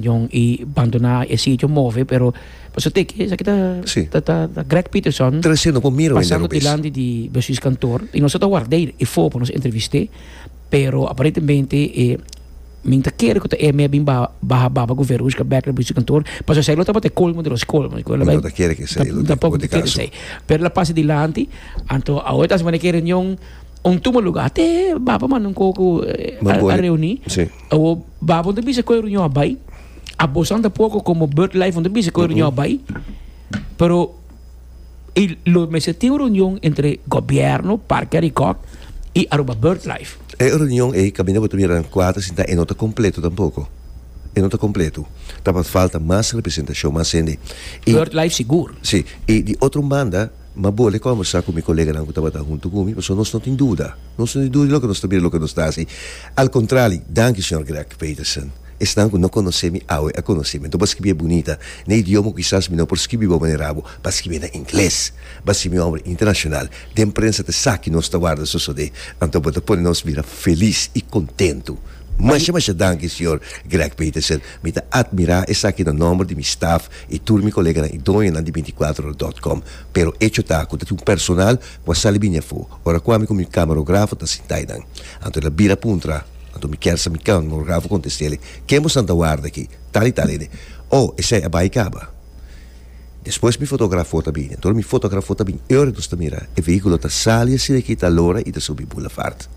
Yon i bandona e sitio move pero paso te ke esaki ta Si. ta ta ta Greg Peterson Trasendo con miro ainda pasando no bes. dilanti di Besuis kantoor i nos ta warda e e for pa nos entrevist'é pero aparentemente e mi ta kere ku ta e mei a bin ba baha baba ku Veroushka bek na Besuis kantoor paso esei lo tabata e colmo de los colmos ku Mi no ta kere ke esei lo mi tampoco ta kere esei pero el a pasa dilanti anto awe ta haci manera ke e reunion un tuma lugar te baba manda un koko a Manboe. reuni Si. Awor, Babo ta bisa ku e runion a bai. Abosan ta poko komo Birdlife no ta bisa ku e runion a bai. Pero i lo mester tin un runion entre gobièrnu, Parke Arikòk i Aruba Birdlife. E runion ei kaminda bo ta mira nan kuater sintá e no ta kompletu tampoko. E no ta kompletu. Ta por falta mas representashon, mas hende. I Birdlife sigur. Si. I di otro banda. Ma bo le kòmbersá ku mi koleganan ku tabata huntu ku mi, pasobra nos no tin duda. Nos no tin duda di loke nos ta bira, di loke nos ta hasi. Al kontrali, danki señor Greg Peterson. Esnan ku no konos'é mi awe a konos'é mi. Anto bo skibie bunita na e idioma ku kisas mi no por skibi bo manera bo a skib'é na ingles. B'a si mi hòmber internashonal. Den prensa ta sa ki nos ta warda sosodé. Anto bo ta pone nos bira felis i kontentu. Masha masha danki señor Greg Peterson. Mi ta atmirá esaki na nòmber di mi staf I tur mi koleganan i doñonan di binticuatrohora dot com, pero echo ta cu ta tin un personal cu a sali bini afo. Ora cu ami cu mi camarografo ta sintai nan, anto el a bira puntra, anto mi ker sa mi camarografo contestele, Ke bo san ta warda aki? Tal i tal ende. Oh, esai a bai caba. Despues mi fotografo ta bini, anto ora mi fotografo ta bini e ora nos ta mira e vehiculo ta sali asina aki ta lora i ta subi boulevard.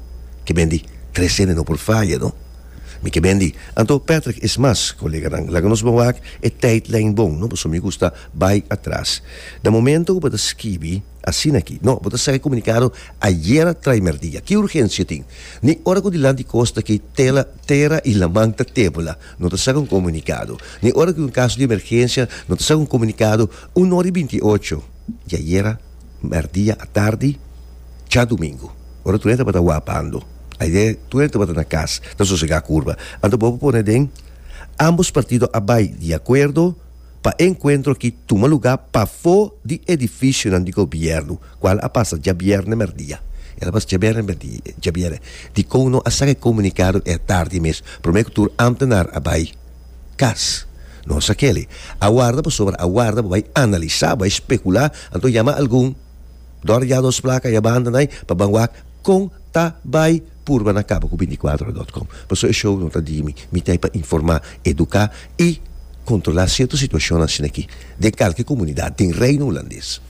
Ke ben di, Tres ende no por faya, no? Mi ke ben di, Anto Patrick is mas, koleganan, laga nos bon wak e tijtlijn bon, no pasobra mi gusta bai atras. Na momento ku bo ta skibi asina aki, no, bo ta sa e komunikado ayera trai merdia. Ki urgensia tin? Ni ora ku dilanti di kosta ki tela, tera i laman ta tebola, no ta saka un komunikado. Ni ora ku un kaso di emergensia no ta saka un komunikado un ora i binti ocho di ayera. Merdia atardi, djadumingu, ora tur hende tabata wapando, aye tur hende tabata na kas ta sosegá kurba, anto bo por pone den, Ambos partido a bai di akuerdo pa e enkuentro ki tuma lugá pafó di edifisionan di gobièrnu, kual a pasa djabièrnè merdia. El a pasa djabièrnè merdia. Dicon no a saka e komunikado e atardi mes, promé ku tur ámtenar a bai. kas. Nos a kele. A warda pasobra a warda bo bai analisá, bo bai spekulá, anto yama algun dor ya dos plaka ya banda nai pa ban wak kon ta bai purba na kaba ku bintikuater ora dòt kòm. Paso e show no ta di mi, mi ta ai pa informá, eduká i kontrolá sierto situashonnan asina aki den kalke komunidat den Reino Hulandes.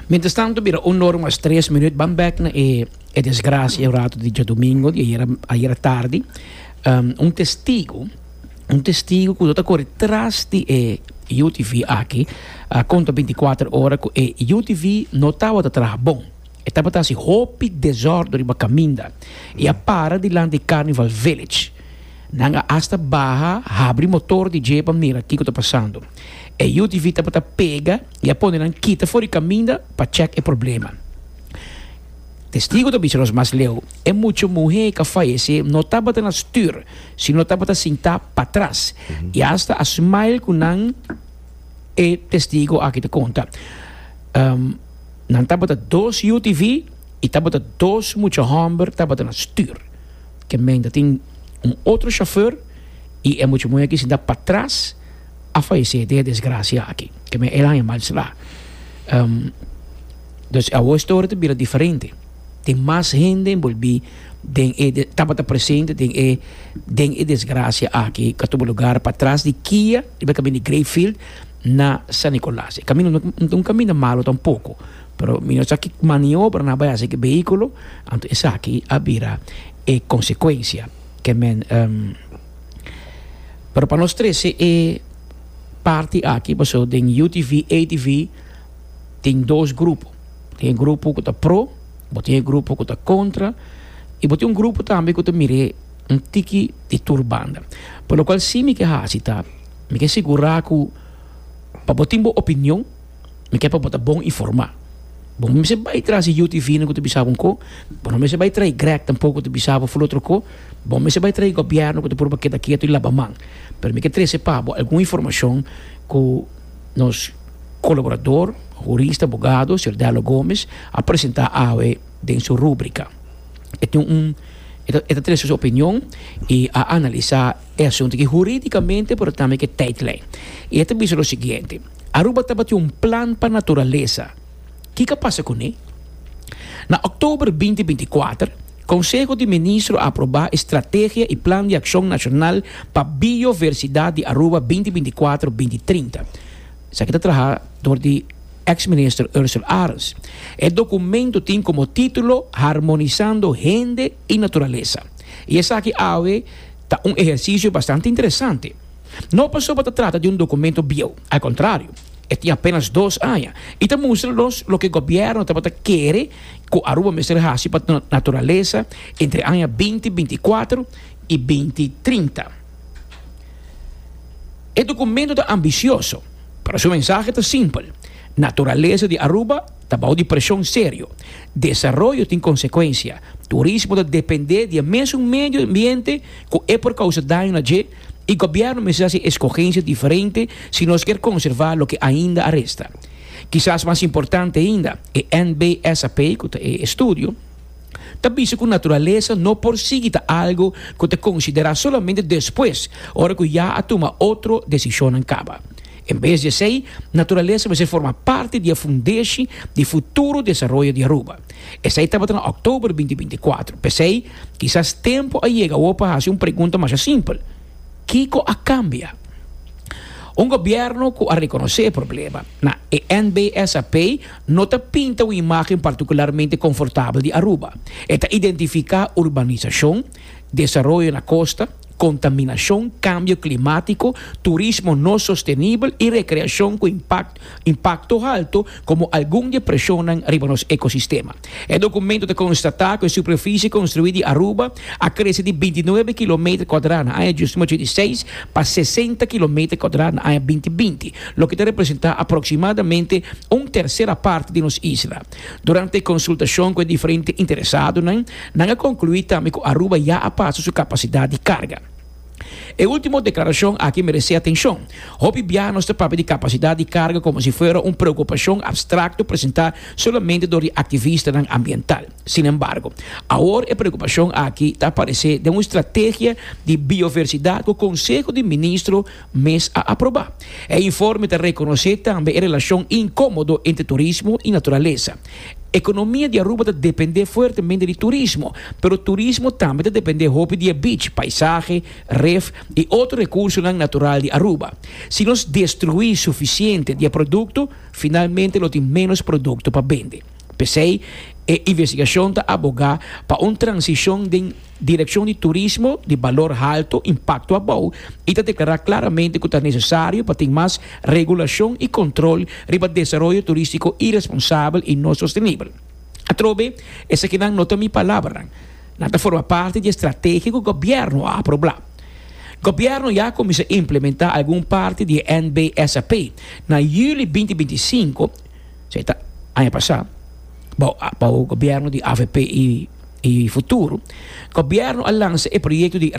Mientras tanto bira un ora mas tres minüt ban bèk na e e desgrasia e rato di djadumingo di ayera ayera tardi. Un testigo. Un testigo cu lo ta core tras di e UTV aki a conta binticuater ora cu e UTV no tabata traha bon. E tabata haci hopi desordo riba caminda y a para dilanti di Carnival Village. Nan a hasta baha, habri motor di dje pa mira kico ta pasando. E UTV tabata pega y a pone nan kita for di caminda pa check e problema. Testigo ta bisa nos mas leu, E mucha muhé i ka fayesé no tabata na stür, sino tabata sintá patras i asta a smile ku nan, e testigo aki ta konta. Nan tabata dos UTV i tabata dos mucha hòmber tabata na stür. Ke mende tin un otro shofèr i e mucha muhé aki sintá patras. a fayesé den e desgrasia aki. Ke men el animal sla. Entonces awo e storia ta bira diferente. Tin mas hende enbolbí den e tabata presente den e den e desgrasia aki ku a tuba lugar patras di kia riba e kaminda di Greyfield na San Nicolas. E kaminda no ta un kaminda malu tampoko pero mi no sa ki maniobra nan a bai hasi ku e behikulo anto esaki a bira e konsekuensia ke men. Pero pa nos trece e parti aki, paso den UTV, ATV tin dos grupo. Tin e grupo ku ta pro, bo tin e grupo ku ta kontra i bo tin un grupo tambe ku ta mir'é un tiki di tur banda. Por lokual si mi ke hasi ta mi ke sigurá ku pa bo tin bo opinion, Mi ke pa bo ta bon informá. Bo no mester bai tras e yu di vino ku ta bisa bo nko, bo no mester bai trae Greg tampoco ku ta bisa bo fulotro nko, bo no mester bai trae e gobièrnu ku ta purba keda ketu i laba man. Pero mi ke trese pa bo algun informashon ku nos kolaborador, hurista, bogado, señor Darlo Gómez, a presentá awe den su rúbrika. E tin un, e ta, e ta trese su opinion i a analisá e asuntu aki hurídikamente pero tambe ku e tijlijn. I e ta bisa lo siguiente. Aruba tabatin un plan pa naturalesa. Kiko a pasa ku ne? Na òktober binti binti kuater, Konseho di Ministro a aprobá e Strategia i Plan di Akshon Nashonal pa Bioversidat di Aruba binti binti kuater binti trinta. Esaki ta trahá dor di èks minister Ursel Arens. E dokumentu tin komo título Harmonisando hende i naturalesa. I esaki awe ta un ehersisio bastante interesante. No paso pa ta trata di un dokumento bieu, al kontrario, e tin apenas dos aña i ta mustra nos loke gobièrnu tabata kere ku Aruba mester hasi pa naturalesa entre aña binti binti kuater i binti trinta. E dokumento ta ambisioso, pero su mensahe ta simpel, Naturalesa di Aruba ta bou di preshon serio, desaroyo tin konsekuensia, turismo ta dependé di e mesun medio ambiente ku e por kousa daño na dje, E gobièrnu mester hasi eskogensia diferente si nos kier konservá loke ainda a resta. Kisas mas importante ainda, e NBSAP, ku ta e estudio, ta bisa ku naturalesa no por sigui ta algu ku ta konsiderá solamente despues ora ku ya a tuma otro desishonnan kaba. En bes di esei, naturalesa mester forma parti di e fundeshi di futuro desaroyo di Aruba. Esei tabata na òktober binti binti kuater. P'esei, kisas tempu a yega awor pa hasi un pregunta masha simpel, Kiko a kambia? Un gobièrnu ku a rekonosé e problema na e NBSAP no ta pinta un imágen partikularmente konfortabel di Aruba. E ta identifiká urbanisashon desaroyo na kosta, kontaminashon, kambio klimatiko, turismo no sostenibel i rekreashon ku impakto haltu komo algun di e preshonnan riba nos ekosistema. E dokumento ta konstatá ku e superfishi konstruí di Aruba a krese di binti nuebe kilometer kuadrá na aña dios mil ochenta i seis pa sesenta kilometer kuadrá na aña binti binti, loke ta representá aproksimadamente un tersera parti di nos isla. Durante e konsultashon ku e diferente interesadonan, nan a konkluí tambe ku Aruba ya a pasa su kapasidat di karga. E último deklarashon aki meresé atenshon. Hopi biaha nos ta papia di kapasidat di karga komo si fuera un preokupashon abstrakto presentá solamente dor di aktivistanan ambiental. Sinembargo, awor e preokupashon aki ta aparesé den un stratehia di bioversidat ku Konseho di Ministro mes a aprobá. E informe ta rekonosé tambe e relashon inkómodo entre turismo i naturalesa. Ekonomia di Aruba ta dependé fuertemente di turismo, pero turismo tambe ta dependé hopi di e beach, paisahe, ref, i otro rekursonan natural di Aruba. Si nos destruí sufisiente di e produkto, finalmente lo tin ménos produkto pa bende. P'esei, e investigashon ta abogá pa un transishon den. Direkshon di Turismo di balor haltu, impakto abou, i ta deklará klaramente ku ta nesesario pa tin mas regulashon i kòntròl riba desaroyo turístiko iresponsabel i no sostenibel. Atrobe, esakinan no ta mi palabranan. Nan ta forma parti di e strategia ku gobièrnu a aproblá. Gobièrnu ya a kuminsá implementá algun parti di e NBSAP na yüli binti binti i sinku, Esei ta aña pasá, bou gobièrnu di avp i Futuro, gobièrnu a lansa e proyekto di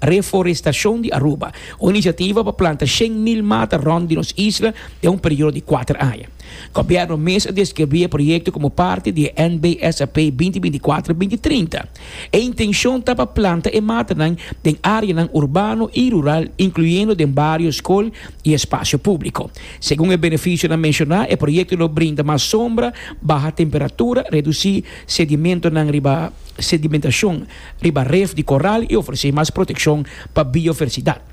reforestashon di Aruba, un inisiativa pa planta shen mil mata rònt di nos isla den un periodo di kuater aña. Gobièrnu mes a deskribí e proyekto komo parti di e NBSAP binti binti kuater binti trinta. E intenshon ta pa planta e matanan den áreanan urbano i rural, inkluyendo den bario, skol i espasio públiko. Segun e benefisionan menshoná, e proyekto lo brinda mas sombra, baha temperatura, redusí sedimentonan riba sedimentashon riba ref di koral i ofresé mas protekshon pa bioversidat.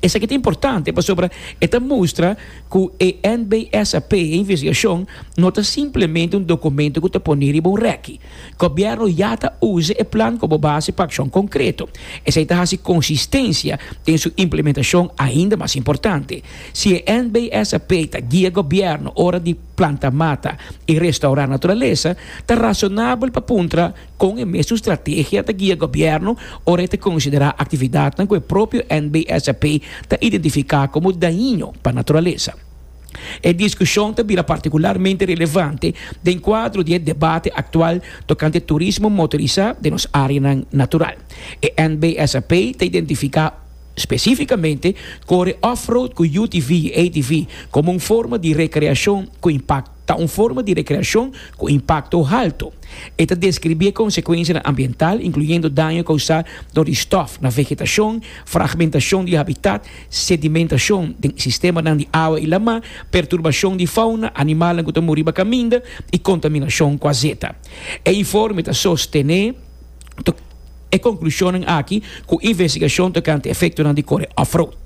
Esaki ta importante pasobra e ta mustra ku e NBSAP, e investigashon, no ta simplemente un dokumento ku ta poné riba un rèki. Gobièrnu ya ta usa e plan komo base pa akshon konkreto. Esei ta hasi konsistensia den su implementashon ainda mas importante. Si e NBSP ta guia gobièrnu ora di planta mata i restaurá naturalesa, ta rasonabel pa puntra kon e mesun strategia ta guia gobièrnu ora e ta konsiderá aktividatnan ku e propio NBSP ta identifiká komo daiño pa naturalesa. E diskushon ta bira partikularmente relevante den kuadro di e debate aktual tokante turismo motorisá den nos áreanan natural. E NBSP ta identifiká. Spesífikamente, kore off-road ku UTV, ATV, komo un forma di rekreashon ku impakto, ta un forma di rekreashon ku impakto haltu. E ta deskribié konsekuensianan ambiental, inkluyendo daño kousá dor di stòf na vegetashon, fragmentashon di habitat, sedimentashon den sistemanan di awa i lamá, perturbashon di fauna, animalnan ku ta muriba kaminda i kontaminashon ku azeta. E informe ta sostené. Tok e konklushonnan aki ku investigashon tokante efektonan di kore off-road.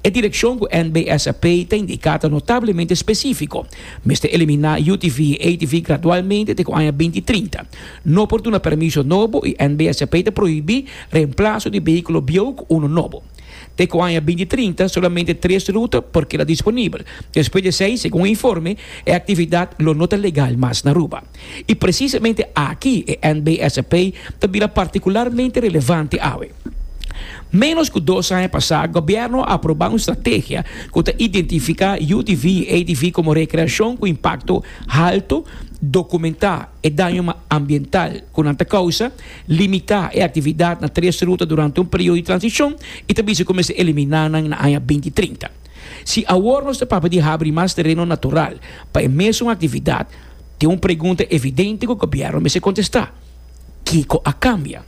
E direkshon ku NBSAP ta indiká ta notablemente spesífiko, mester eliminá UTV i ATV gradualmente te ku aña binti trinta. No por duna permiso nobo i NBSAP ta prohibí reemplaso di behíkulo bieu ku unu nobo. Te ku aña binti trinta solamente tres ruta por keda disponibel. Despues di esei, segun e informe, e aktividat lo no ta legal mas na Aruba. I presisamente aki e NBSAP ta bira partikularmente relevante awe. Ménos ku dos aña pasá gobièrnu a aprobá un strategia ku ta identifiká UTV i ATV komo rekreashon ku impakto haltu, dokumentá e daño ambiental ku nan ta kousa, Limitá e aktividat na tres ruta durante un periodo di transishon i ta bisa ku mester eliminá nan na aña binti trinta. Si awor nos ta papia di habri mas tereno natural pa e mesun aktividat, tin un pregunta evidente ku gobièrnu mester kontestá, Kiko a kambia?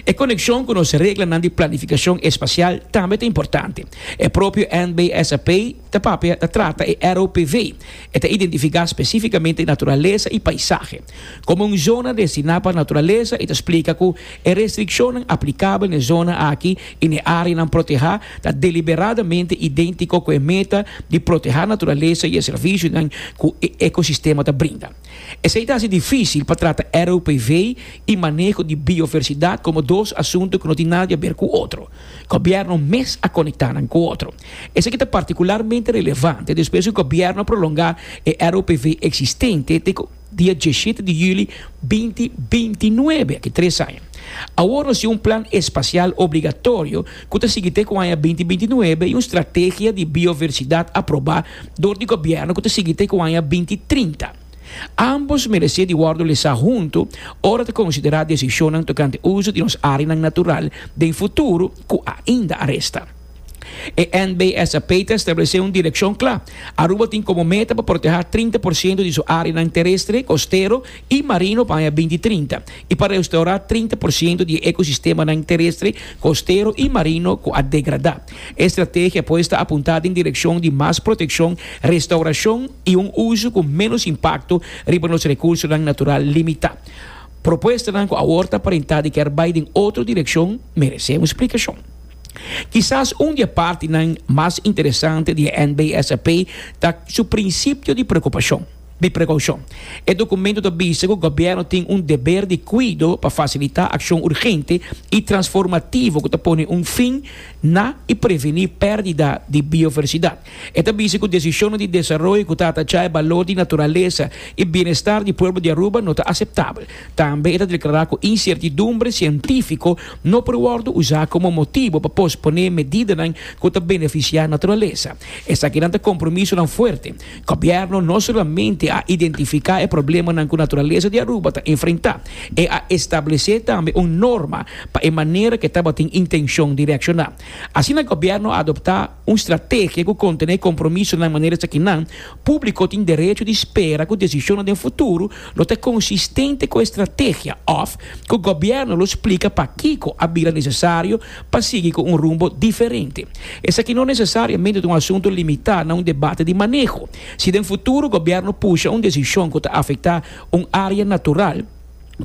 E konekshon ku nos reglanan di planifikashon espasial tambe ta importante. E propio NBSAP ta papia ta trata e ROPV. E ta identifiká spesífikamente naturalesa i paisahe. Komo un zona destiná pa naturalesa i ta splika ku e restrikshonnan aplikabel n'e zona aki i n'e áreanan protehá ta deliberadamente idéntiko ku e meta di protehá naturalesa i e servisionan ku e ekosistema ta brinda. Esei ta hasi difísil pa trata RUPV i maneho di bioversidat komo dos asuntu ku no tin nada di a ber ku otro. Gobièrnu mes a konektá nan ku otro. Esaki ta partikularmente relevante despues ku gobièrnu a prolongá e RUPV eksistente te ku. Dia dieshete di juli binti binti nuebe, aki tres aña. Awor nos tin un plan espasial obligatorio ku ta sigui te ku aña binti binti nuebe i un strategia di bioversidat aprobá dor di gobièrnu ku ta sigui te ku aña binti trinta. Ámbos meresé di wòrdu lesá huntu ora ta konsiderá desishonnan tokante uso di nos áreanan natural den futuro ku ainda a resta. E NBSAP ta establesé un direkshon kla, Aruba tin komo meta pa protehá trinta por siento di su áreanan terestre, kostero i marino pa aña binti trinta i pa restaurá trinta por siento di e ekosistemanan terestre, kostero i marino ku a degradá. E strategia pues ta apuntá den direkshon di mas protekshon, restaurashon i un uso ku ménos impakto riba nos rekursonan natural limitá. Propuestanan ku awor ta aparentá di kèr bai den otro direkshon meresé un splikashon. Kisas un di e partinan mas interesante di e NBSAP ta su prinsipio di preokupashon, di prekoushon. E dokumento ta bisa ku gobièrnu tin un deber di kuido pa fasilitá akshon urgente i transformativo ku ta pone un fin na i prevení pèrdida di bioversidat. E ta bisa ku desishonnan di desaroyo ku ta atachá e balor di naturalesa i bienestar di pueblo di Aruba no ta aseptabel. Tambe e ta deklará ku insertidumbre sientífiko no por wòrdu usá komo motibu pa posponé medidanan ku ta benefisiá naturalesa. Esakinan ta kompromisonan fuerte. Gobièrnu no solamente a identifiká e problemanan ku naturalesa di Aruba ta enfrentá, e a establesé tambe un norma pa e manera ku e tabatin intenshon di reakshoná. Asina gobièrnu a adoptá. Un strategia cu contene compromisonan manera esakinan, publico tin derecho di spera cu decisionnan den futuro lo ta consistente cu e strategia of cu gobierno lo splica pakico a bira necesario pa sigui cu un rumbo diferente. Esaki no necesariamente ta un asunto limita na un debate di maneho si den futuro gobierno pusha un decision cu ta afecta un area natural,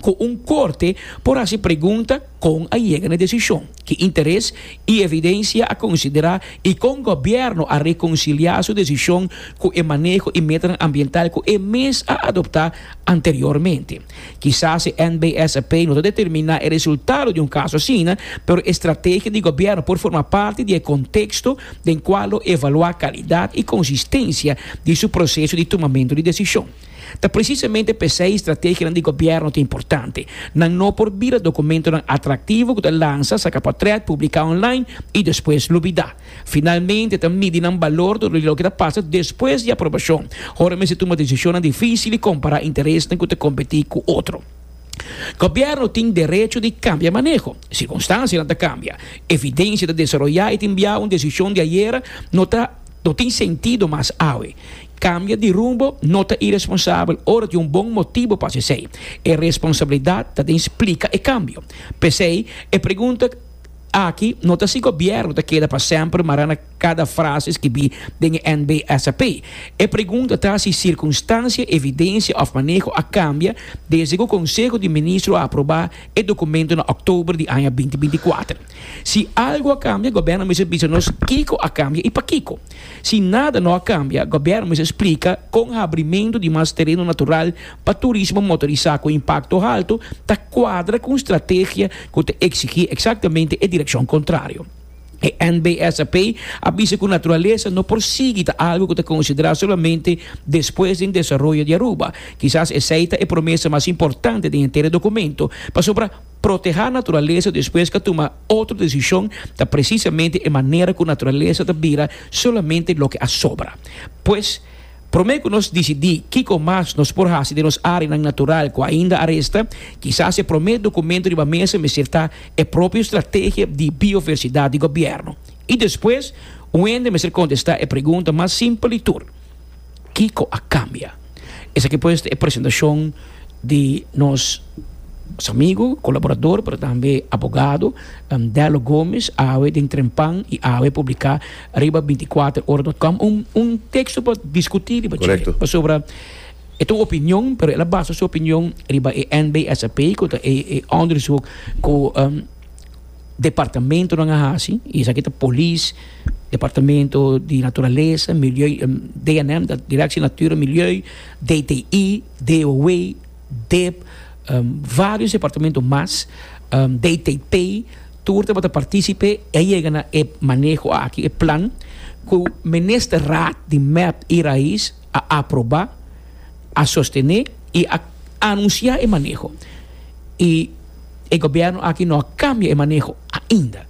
cu un corte por haci pregunta con a yega na decision, ki interes y evidencia a considera y con gobierno a reconcilia su decision cu e maneho y metanan ambiental cu e mes a adopta anteriormente. Kisas e NBSP no ta determina e resultado di un caso asina, pero e strategia di gobierno por forma parti di e contexto den cua lo evalua calidad y consistencia di su proceso di tumamento di decision. Ta presisamente p'esei strategianan di gobièrnu ta importante. Nan no por bira dokumentonan atraktivo ku ta lansa, saka pòtrèt, publiká online i despues lubidá. Finalmente, ta midi nan balor dor di loke ta pasa despues di aprobashon, ora mester tuma desishonnan difísil i kompará interesnan ku ta kompetí ku otro. Gobièrnu tin derecho di kambia maneho. Sikonstansianan ta kambia, evidensia ta desaroyá i tin bia un desishon di ayera no ta no tin sentido mas awe. Kambia di rumbo no ta iresponsabel ora tin un bon motibu pa hasi esei. E responsabilidat ta den splika e kambio. P'esei, e pregunta aki no ta si Gobièrnu ta keda pa semper mará na kada frase skibí den e NBSP. E pregunta ta si sirkunstansia, evidensia òf maneho a kambia desde ku Konseho di Ministro a aprobá e dokumentu na òktober di aña binti binti kuater. Si algu a kambia, Gobièrnu mester bisa nos kiko a kambia i pakiko. Si nada no a kambia, gobièrnu mester splika kon habrimentu di mas tereno natural pa turismo motorisá ku impakto haltu ta kuadra ku un strategia ku ta eksigí eksaktamente e direkshon kontrario. E NBSAP a bisa ku naturalesa no por sigui ta algu ku ta konsiderá solamente despues den desaroyo di Aruba. Kisas esei ta e promesa mas importante den henter e dokumentu, pasobra, Protehá naturalesa despues ka tuma otro desishon ta presisamente e manera ku naturalesa ta bira solamente loke a sobra. Pues, promé ku nos disidí kiko mas nos por hasi den nos áreanan natural ku ainda a resta, kisas e promé dokumentu riba mesa mester ta e propio strategia di bioversidat di gobièrnu. I despues, un hende mester kontestá e pregunta mas simpel di tur, Kiko a kambia? Esaki pues ta e presentashon di nos amigu, kolaborador, pero tambe abogado, Dello Gomez, awe den Trempan i awe publiká riba binti i kuater ora dot kòm un un teksto pa diskutí riba dje. Korekto. Pasobra e ta un opinion, pero el a basa su opinion riba e NBSAP, ku ta e e òndersuk ku. departamentonan a hasi, y esaki ta polis, departamento di naturalesa, milieu, DNM, Directie Natuur en Milieu, DTI, DOW, DIP, um, varios departamento mas, um, DTP, tur tabata participe y a yega na e maneho aki, e plan cu Ministerraad di Mep y Rais a aproba, a sostene y a anuncia e maneho. Y. e gobierno aki no a cambia e maneho ainda.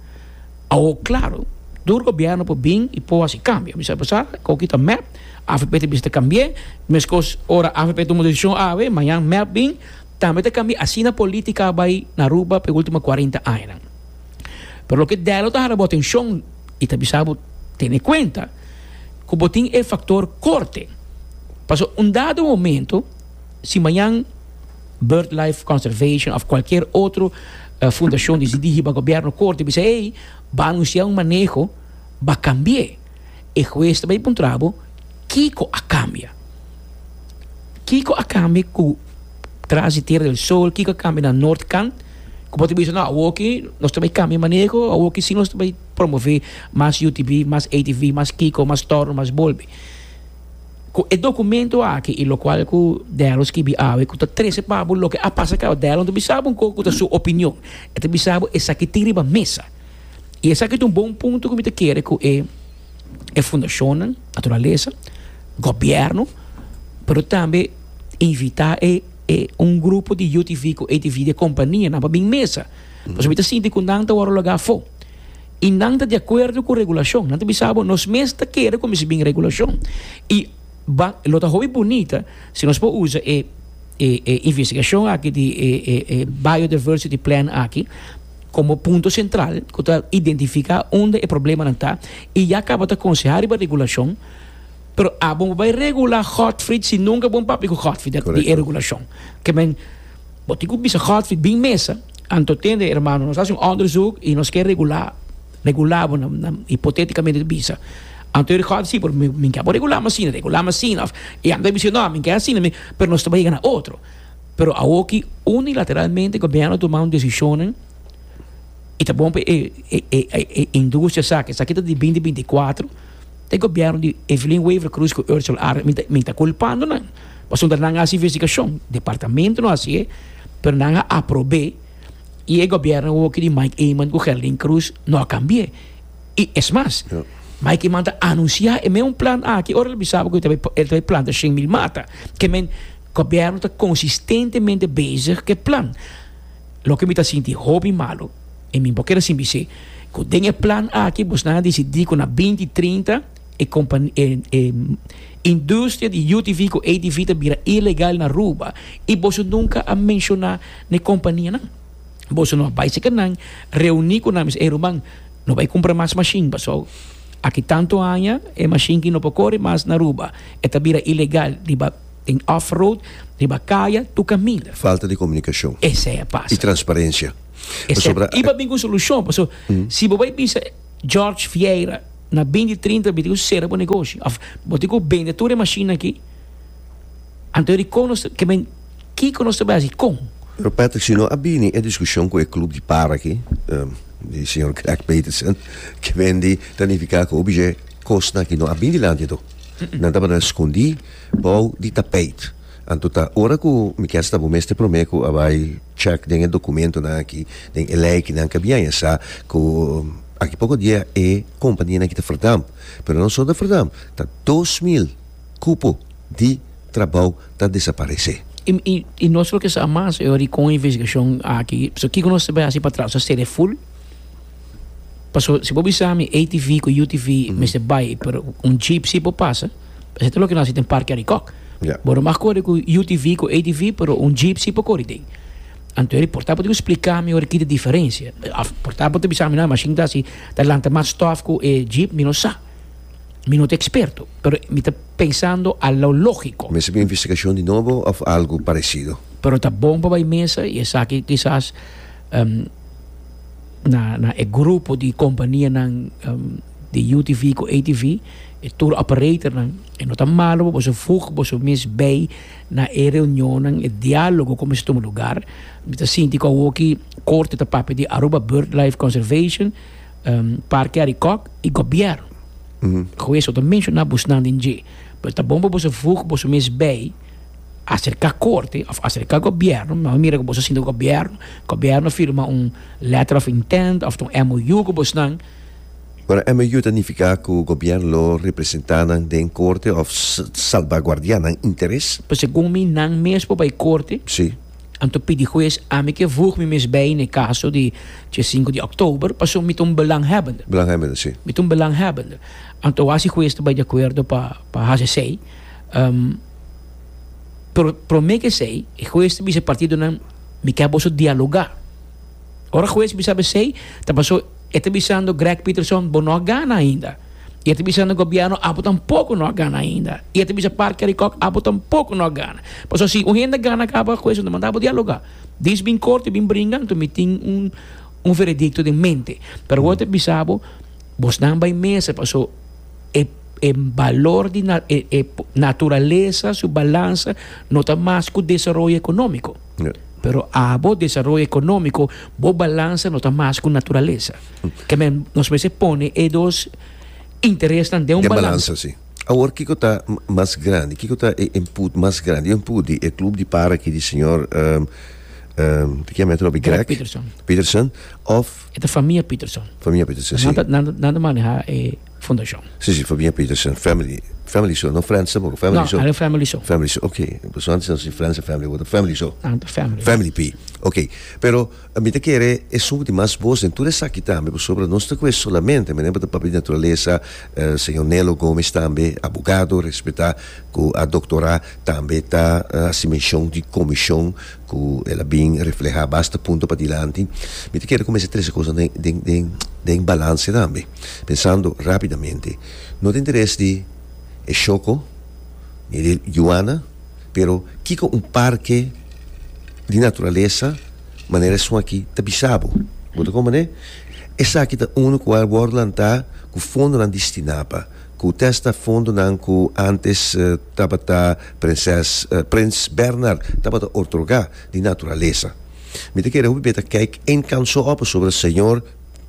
Awor claro, tur gobierno por bin y por haci cambio. Mi sa por sa, con kita mep, avp ta bisa ta cambi'e, mescos ora avp tuma decision awe, mañan mep bin, tambe ta cambi'e. Asina politica a bay na Aruba p'e ultimo cuarenta añanan. Pero loke Dello ta hala bo atencion y ta bisa bo, tene cuenta cu bo tin e factor corte. Pasobra un dado momento, si mañan, Birdlife Conservation of cualkier otro fundacion di CDG pa gobierno corte bisa hey ba anuncia un maneho ba cambie e huez ta bay puntrabo kico a cambia kico a cambia cu tras di tierra del sol kico a cambia na north kant cu bo ta bisa no awo ki nos ta bay cambia maneho awo ki si nos ta bay promove mas UTV mas ATV mas kico mas torno mas bolbe. Cu e documento aki y locual cu Darryl skibi awe cu ta trece pa bo loke a pasa caba, Darryl no ta bisa bo un coco cu ta su opinion, e ta bisa bo esaki tin riba mesa. Y esaki ta un bon punto cu mi ta kere cu e e fundacionnan, Naturalesa, Gobierno, pero tambe invita e e un grupo di UTV cu ATV di e companianan pa bin mesa, pasobra mi ta sinti cu nan ta wordo laga afo. i nan ta di akuerdo ku regulashon, nan ta bisa bo nos mes ta kere ku mester bin regulashon. I ban lo ta hopi bunita si nos por usa e e e investigashon aki di e e e biodiversity plan aki komo punto sentral ku ta identifika unda e problemanan ta i ya kaba ta konsehá riba regulashon, pero abo bo bai regulá hòtfrit si nunka bo papia ku hòtfrit di e regulashon. Bo tin cu bisa Godfrey bin mesa, anto tende hermano nos haci un onderzoek y nos ke regula, regula bo na hipoteticamente ta bisa, anto yo di Godfrey si pero mi ke abo regula mi asina, regula mi asina of y anto mi si no mi ke asina mi pero nos ta bay yega na otro pero awoki unilateralmente gobierno tuma un decisionen y ta bon pa e e industria esaki, esaki ta di binti binti cuatro ta e gobierno di Evelyn Wever-Croes cu Ercel Arendt mi ta culpando nan. Pasobra nan a hasi investigashon, departamento no a hasié, pero nan a aprobé i e gobièrnu woki di Mike Eman ku Gerlin Cruz no a kambié. I es mas, Mike Eman ta anunsiá e mesun plan aki ora el a bisaba ku e ta bai e ta bai planta shen mil mata. Ke men, gobièrnu ta konsistentemente bezig ku e plan. Loke mi ta sinti hopi malu, i mi bo keda sin bis'é, ku den e plan aki bosnan a disidí ku na binti trinta, E compania, e industria di UTV cu ATV ta bira ilegal na Aruba y boso nunca a menciona n'e compania nan. Boso no a bay seca nan reuni cu nan mes, ey ruman, no bay cumpra mas machine paso aki tanto aña e machine ki no por cori mas na Aruba, e ta bira ilegal riba den off road, riba caya, tur caminda. Falta di comunicacion. Esey a pasa. Y transparencia. Esey, pasobra. Y pa bin cu un solucion, paso si bo bay bisa. George Vieira na binti trinta a binti ku sera bo negoshi òf bo tin ku bende tur e mashin aki anto di kon nos ta ke men kiko nos ta bai hasi kon. Pero Patrick si no a bini e diskushon ku e klup di para aki di señor Greg Peterson ke men di ta nifiká ku obishi e kosnan aki no a bini lanti ato nan tabata eskondí bou di tapeit anto ta ora ku mi kes ta bo mester promé ku a bai Check den e dokumentonan aki, den e lei ki nan kabia e sa ku aki poko dia e kompanianan aki ta ferdam. Pero no solo ta ferdam, ta dos mil kupo di trabou ta desaparesé. I nos lo ke sa mas, e ora di kon e investigashon aki, so kiko nos ta bai hasi patras? Nos ta sede ful? Paso si bo bisa mi ATV ku UTV mester bai pero un jeep si por pasa. Paso eto loke nos hasi den parke Arikok. Yeah. Bo no mag kore ku UTV ku ATV pero un jeep si por kore den. Anto eri porta por tin ku splika mi ora ki ta diferensia. Of porta por ta bisa mi nan e mashin ta hasi ta lanta mas stof ku e jeep mi no sa. Mi no ta eksperto pero mi ta pensando a lo lógiko. Mester bin investigashon di nobo of algu paresido. Pero ta bon pa bai mesa i esaki kisas. na na e grupo di kompanianan di UTV ku ATV, e tur operatornan, e no ta malu pa boso vug boso mes bei na e reunionnan, e diálogo ku mester tuma lugar. Mi ta sinti ku awoki Korte ta papia di Aruba Birdlife Conservation, Parke Arikòk i Gobièrn. Hues, no ta menshoná bosnan den dje, pero ta bon pa boso vug boso mes bei. acerca corte of acerca gobierno mi mira cu boso sinti gobierno gobierno firma un letter of intent of ta un MOU cu bosnan. Bueno e MOU ta nifica cu gobierno lo representa nan den corte of salbaguardia nan interes. Pues segun mi nan mes por bay corte. Si. Anto pidi hues ami ke vug mi mes bay ne caso di dje sinku di october paso mi ta un belanghebende. Belanghebende si. Mi ta un belanghebende anto a si hues ta bay de acuerdo pa haci esey. Um, pero prome kesey, e hues ta bisa partidonan, mi kè boso dialogá. Ora hues bisa besey, ta paso e ta bisando Greg Pieterson, bo no a gana ainda. I e ta bisando gobièrnu, abo tampoko no a gana ainda. I e ta bisa Park Caricog, abo tampoko no a gana. Pasobra si un hende a gana kaba, hues lo ta manda bo dialogá. Dis bin korto i bin bringa, anto mi tin un, un veredikto den mente. Pero bo ta bisa bo, Bos nan bai mesa paso e e balor di na e e naturalesa su balansa no ta mas ku desaroyo ekonómiko. Pero abo desaroyo ekonómiko bo balansa no ta mas ku naturalesa. Ke men nos mester pone e dos interesnan den un Den balansa. balansa, si. Awor kiko ta mas grandi? Kiko ta e input mas grandi? E input di e klub di par aki di señor di kier mi a troba? Greg Greg Peterson. Peterson of E ta famia Peterson. Famia Peterson, si. Nan ta, nan ta maneha e fundashon. Si, si, famia Peterson, family, family so, no friends tampoco, family so. No, ale family so. Family so, ok. Pasobra antes nan ta si friends en family, awor ta family so. Nan ta family. Family P. Ok. Pero mi ta kere esun di mas bos den tur esaki tambe, pasobra nos ta ku e solamente, men hembra ta papia di naturalesa, señor Nelo Gomez tambe, abogado, respetá, ku a doktorá, tambe ta hasi menshon di komishon. ku el a bin reflehá basta punto pa dilanti, mi ta kere ku mester trese kosnan den den den balanse tambe, pensando rápidamente no ta interes di e shoko ni di Juana, pero kiko un parke di naturalesa manera esun aki ta bisa bo? Bo ta kompané? Esaki ta unu ku a wòrdu lantá ku fondonan distiná pa ku tèsta fondonan ku ántes tabata Prinses, Prins Bernhard tabata otorgá di naturalesa. Mi ta kere hopi beta kijk én kanso òf pasobra señor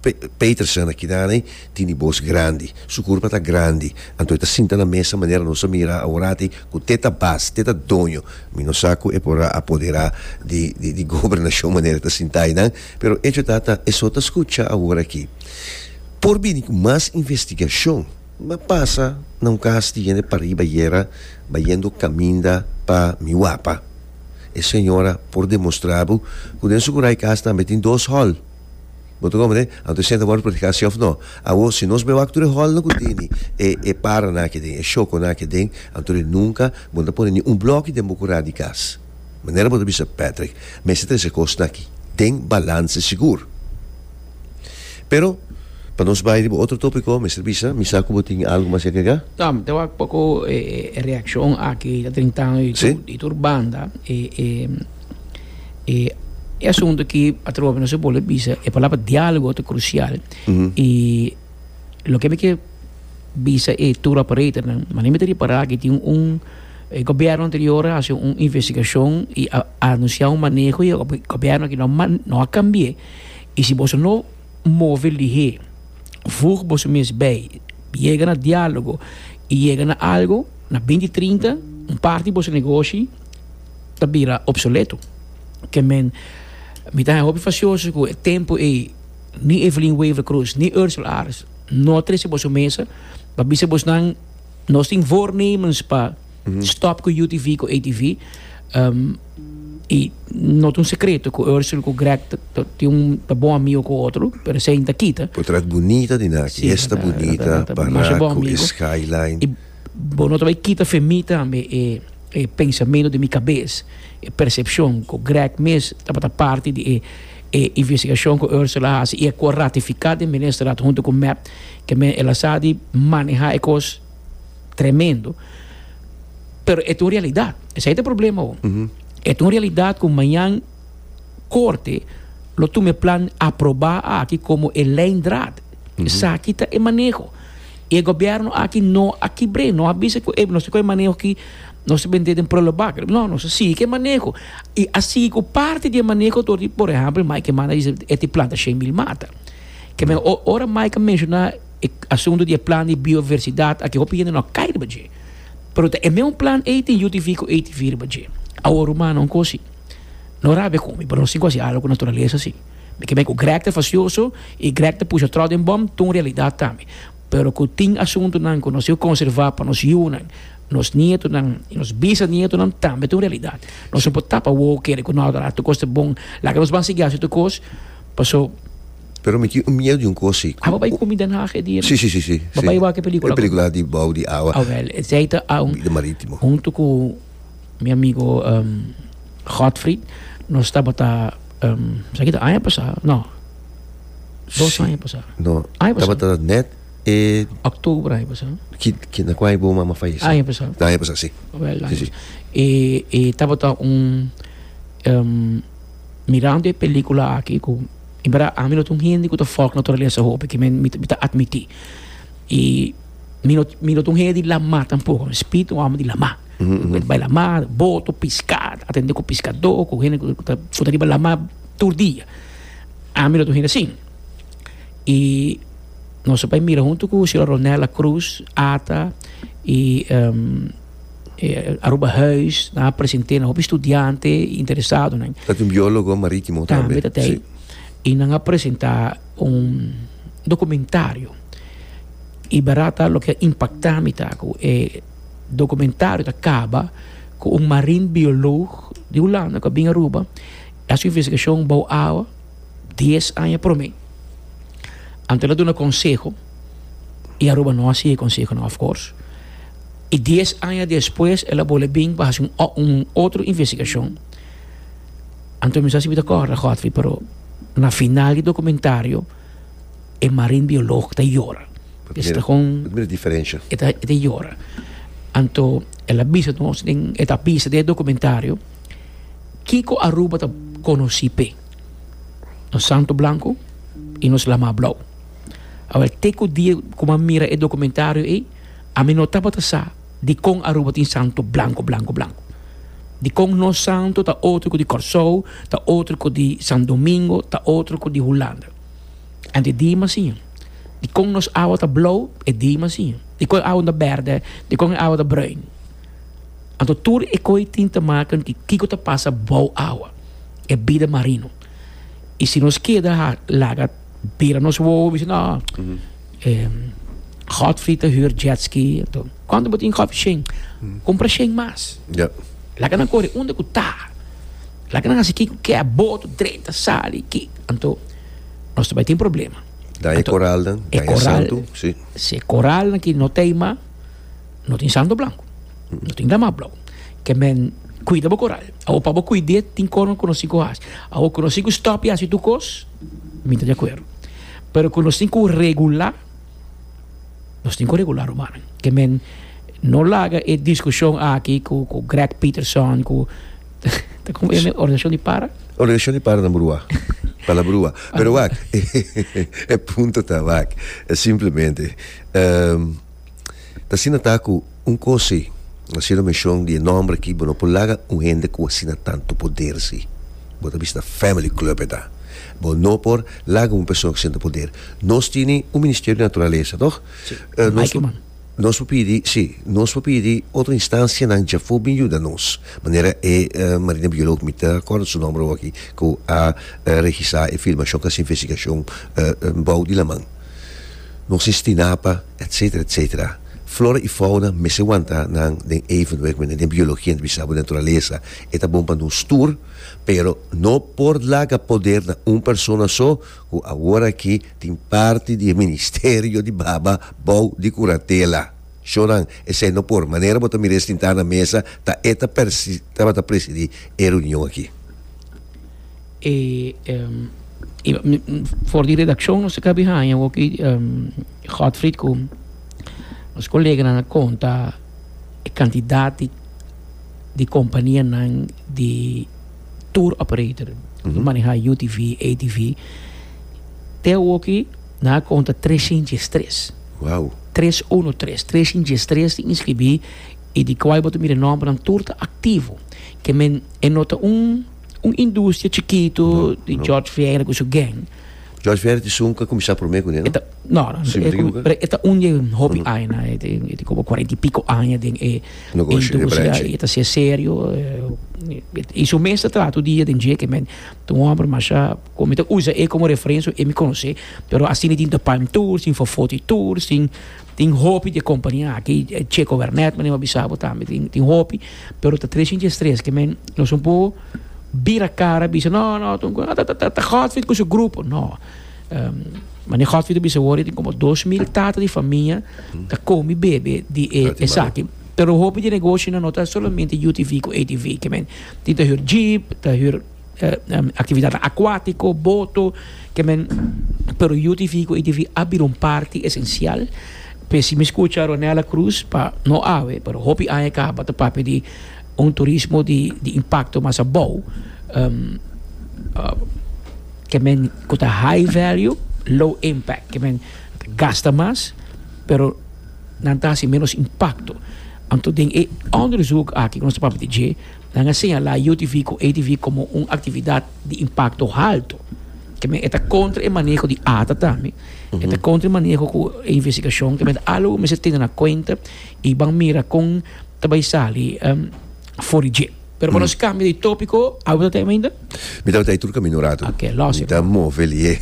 Pe, Petersen a kidá nei tin di bos grandi. Su kurpa ta grandi, anto e ta sinta na mesa manera nos a mira aworatii ku te ta bas, te ta doño. Mi no sa ku e por a apoderá di, di, di gobernashon manera e ta sinta einan, pero echo ta ta eso ta skucha aworakí. Por bini ku mas investigashon. Mi a pasa na un kas di hende pariba ayera bayendo kaminda pa mi wapa. E señora por demostra bo ku den su kurai kas tambe tin dos hòl. Bo ta kòmprende? Anto e senta wòrdu pa tihá si òf nò. Awor, si nos bai wak tur e hòlnan ku tene e e paranan aki den, e shokonan aki den, anto de nunka bo no ta pone ni un blòki den bo kura di kas. Manera bo ta bisa Patrick, mester trese kos naki den balans i sigur. Pero, pa nos bai riba otro topiko, mester bisa, mi sa ku bo tin algu mas di agrega? Ta, mi ta wak un poko e reakshon aki ta trintando di tur, di tur banda. E, e, e, e asuntu aki, patrón, mi no si bo lo bisa, e palabra diálogo ta krusial i. Loke mi ke bisa e tour operator nan manera mi ta repara aki tin un e gobierno anterior a hasi un investigacion y a anuncia un maneho y e gobierno aki no a cambie y si boso no move lihe voeg boso mes bay yega na dialogo y yega na algo na binti trinta un parti di boso negoshi ta bira obsoleto ke men mi ta hopi facioso ku e tempo ey Ni Evelyn Wever Croes ni Ursel Ares no a trece boso mesa pa bisa bos nan nos tin voornemens pa stop cu UTV cu ATV y no ta un secreto cu Ursel cu Greg ta tin un ta bon amigo cu otro pero esey no ta kita. Bo traha bunita di naki y esta bunita para cu e skyline. Y bo no ta bay kita fe mi tambe e e pensamento di mi cabes e percepcion cu Greg mes tabata parti di e. E investigashon ku Ursula a hasi i e ku a ratifiká den Ministerat huntu ku mep ke men el a sa di manehá e kos tremendo, pero e ta un realidat. Esei ta e problema awor. E ta un realidat ku mañan Korte lo tuma e plan aprobá aki komo e leindraad. Esaki ta e maneho. I e gobièrnu aki no a kibr'é, no a bisa ku ey, nos ta ko'e maneho aki Nos a bende den prulebak. No, nos a sigui ku e maneho. I a sigui ku parti di e maneho dor di, por ehèmpel, Mike Eman a bisa e ta e planta shen mil mata. Ke men, o, ora Mike a menshoná e asuntu di e plan di biodiversidat akí, hopi hende no a kai riba dje. Pero ta e mesun plan ei tin UTV ku ATV riba dje. Awo, rumannan, un kos si. No rabia ku mi, pero no sin ku a hasi algu ku naturalesa a hasi. Mi ke bai ku Greg ta fasioso i Greg ta pusha tròt den bòm ta un realidat tambe. Pero ku tin asuntunan ku nos debe konservá pa nos yunan, nos nietunan i nos bisanietunan tambe ta un realidat. Nos no por tapa wou kere ku nòrda la tukos ta bon, laga nos ban sigui hasi tukos, paso. Pero mi tin un miedu di un kosi. Abo bai kumi Den Haag e dia? Si, si, si, si. Bo bai wak e pelikula? E pelikula di bou di awa. Awèl, esei ta un. Bida marítimo. Huntu ku Mi amigo Godfried nos tabata sa kita aña pasá no dos aña pasá no aña pasá tabata net e octubre aña pasá ki ki na kwai bo mama fallece aña pasá aña pasá sí well aña sí, sí. e e tabata un um, mirando e película aki ku en verdad ami no ta un hende ku ta fòk naturalesa hopi ki mi ta admití i Mi no, mi no tunhe di lama tampoco. Mi speed un hombre di lama. Mm -hmm. Bai lama, boto, piscar, atende ku piscador, ku hende ku ta riba lama tur dia. A mi no tunhe sin. I no se bai mira junto ku señora Ronella Cruz, ata, i um, eh, Aruba Huis, na presente na hopi studiante interesado. Nan. Dat un biólogo marítimo también. También, sí. I nan a presenta Un dokumentario i Barata loke a impaktá mi ta ku e dokumentario ta kaba ku un marin biolog di Hulanda ku a bin Aruba a hasi investigashon bou awa dies aña promé anto el a duna konseho i Aruba no a sigui e konseho nan ofkors i dies aña despues el a bole bin pa hasi un otro investigashon. Anto mi sa si mi ta kòrda, Godfrey, pero na final di dokumentario e marin biolog ta yora. Porque si ta kon... Mira diferensha. E ta, e ta yora. Anto el a bisa nos, den, e ta bisa den dokumentario, kiko Aruba ta konosí pe? Nos santo blanco i nos lama blou. Awor, te ku dia ku mi a mira e dokumentario ei, ami no tabata sa dikon Aruba tin santo blanko blanko blanko. Dikon nos santo ta otro ku di Kòrsou, ta otro ku di San Domingo, ta otro ku di Hulanda. Anto e dima si. Dikon nos awa ta blou? E dima si. Dikon e awa no ta bèrdè? Dikon e awa ta bruin? Anto tur e koi tin te make ku kiko ta pasa bou awa, e bida marino. I si nos keda laga. bira nos wowo, mi si no, eh, Godfrey te huur jetski, to, kwanto bo tin Godfrey shen? Kumpra shen mas. Ja. Laga nan kore unda ku ta. Laga nan hasi kiko ke a boto, drenta, sali, ki. Anto, nos ta bai tin problema. Da e Anto, koral dan, e da e koral, santu, si. Se koral nan ki no teima, no tin santu blanku, no tin dama blau. Ke men kuida bo koral. Awo pa bo kuid'é tin kor nan konosi ku hasi. Awo konosi ku stòp i hasi tur kos. Mi ta di akuerdo. Pero ku nos tin ku regulá, nos tin ku regulá rumannan. Ke men no laga e diskushon aki ku Greg Peterson ku ta kon bai e organisashon di para? Organisashon di para na bruha. Pa na bruha. Pero wak, e punto ta wak, simplemente. Ta asina ta cu un cosa y bo a sido mencion di e nomber aki, bo no por laga un hende cu asina tanto poder si bo ta bista family club e ta. Bo no por laga un persona cu asina tanto poder. Nos tini un Ministerio di Naturalesa, toh? Nos por, nos por pidi, si, nos por pidi otro instancianan dja for bin yuda nos, manera e marina biolog, mi ta acorda su nomber awor aki, cu a registra e filmacion cu a haci investigacion bou di laman. Nos a stinapa. etcetera etcetera Flora y fauna mester wanta nan den even luego mende den biologia ta bisa bo naturalesa e ta bon pa do un stoer pero no por laga poder na un persona so cu awor aki tin parti di e ministerio di baba bou di curatela sho nan esey no por manera bo ta mira e sinta na mesa ta e ta persidi tabata presidi e reunion aki. For di redaccion nos a cabi haya hopi Godfrid cu nos coleganan a conta e cantidad di companianan di tour operator cu maneha UTV, ATV. Te awoki nan a conta treshinta i stres. Wow. Tres uno tres. Treshinta i stres tin inscribi y di cual bo ta mira nombernan tur ta activo. Ke men e no ta un un industria chikitu di George Vieira ku su geng. George Vieira ti sunka kuminsá promé kuné, no? No, pero e ta un di e hopi aña, e tin komo kuarenta i piko aña den e industria ei. E ta ser serio, i su mes ta trata un dia den dje ke men ta un hòmber masha, ku mi ta usa e komo referens, e mi konos'é, pero asina i tin ta palm tour, tin for forty tour, tin. Tin hopi di e kompania aki, Checo Vernet men a bisa bo tambe, tin tin hopi, pero ta tres hincha stres ke men nos un poco bira cara bisa no no ta Godfrid ku su grupo no mane Godfrid a bisa wor tin como dos mil tata di famia ta komi bebe di esaki pero hopi di negoshonan no ta solamente UTV ku ATV ke men tin ta hür jeep ta hür actividad acuático, boto, que men, pero yu di Vigo y di Vigo a bira un parti esencial. Pe si mi escucha Ronella Cruz, pa no awe, pero hopi aña caba ta papia di un turismo di impacto mas abao, que men cu ta high value, low impact, que men gasta mas, pero nan ta haci menos impacto. Anto den e onderzoek aki cu nos ta papia di dje. Nan a señalá UTV ku ATV komo un aktividat di impakto haltu. Ke men e ta kontra e maneho di ata tambe. E ta kontra e maneho ku e investigashon ke men algo mester tene na kuenta i ban mira kon ta bai sali for di dje. Pero pa nos kambia di tópiko, awe bo ta tei ainda? Mi tabata ei tur kaminda un ratu. Ok, lo hasi Mi ta move lié.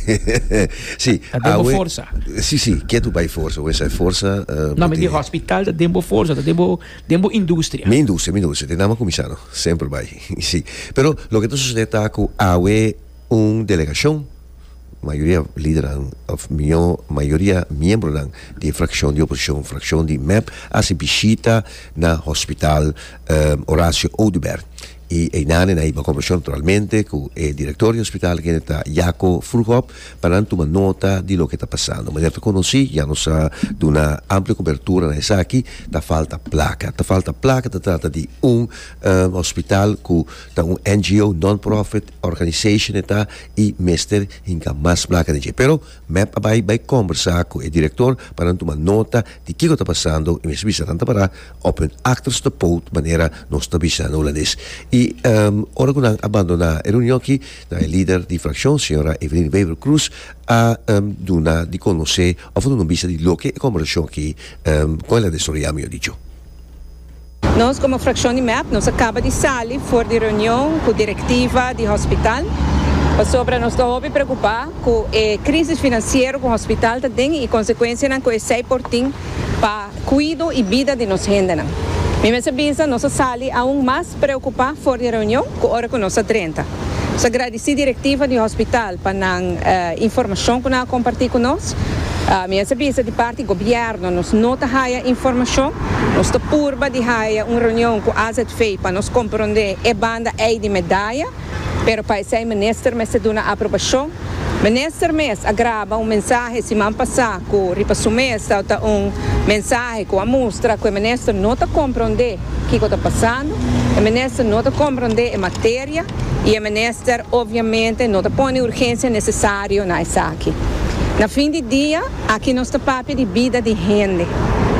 Sí, Ta den bo awe forsa. Sí, sí, ke tur bai forsa, wens ai forsa. No, mi di hospital ta den bo forsa, ta den bo Den bo industria? Mi industria, mi industria, tin nan a kuminsá no, semper bai, y si. Pero loke ta sosodé ta ku awe un delegashon, mayoria lidernan òf mió mayoria miembronan di e frakshon di oposishon, frakshon di mep, a hasi bishita na Hospital Horacio Oduber. y eynane nan hiba conversion naturalmente cu e director di hospital kende ta ya cu vroeg op pa nan tuma nota di loke ta pasando manera ta conoci ya nos a duna amplio cobertura na esaki ta falta placa ta falta placa ta trata di un hospital cu ta un NGO non profit organization e ta y mester hinca mas placa den dje pero Mep a bai bai kombersá ku e direktor pa nan tuma nota di kiko ta pasando i mester bisa nan ta pará op hun achterste poot manera nos ta bisa na hulandes. I ora ku nan a bandoná e reunion aki na e lider di frakshon señora Evelyn Wever Croes a duna di konosé òf a duna un bisa di loke e kombersashon aki kon el a desoroyá, mihor dicho. Nos como fraccion di mep nos a caba di sali for di reunion cu directiva di hospital pasobra nos ta hopi preocupa cu e crisis financiero cu hospital ta den y consecuencianan cu esey por tin pa cuido y bida di nos hendenan. Mi mester bisa nos a sali aun mas preocupa for di reunion cu ora cu nos a drenta. Nos a gradici directiva di hospital. Pa nan informashon ku nan a kompartí ku nos. Mi mester bisa di parti gobièrnu nos no ta haya informashon. Nos ta purba di haya un reunion ku AZV pa nos komprondé e banda ei di medaya, pero pa esei Minister mester duna aprobashon. Minister mes a graba un mensahe siman pasá ku riba su mes tawata un mensahe ku a mustra ku e Minister no ta komprondé. Kiko ta pasando? E minister no ta komprendé e materia i e minister obviamente no ta pone urgensia nesesario na esaki. Na fin di dia, aki nos ta papia di bida di hende.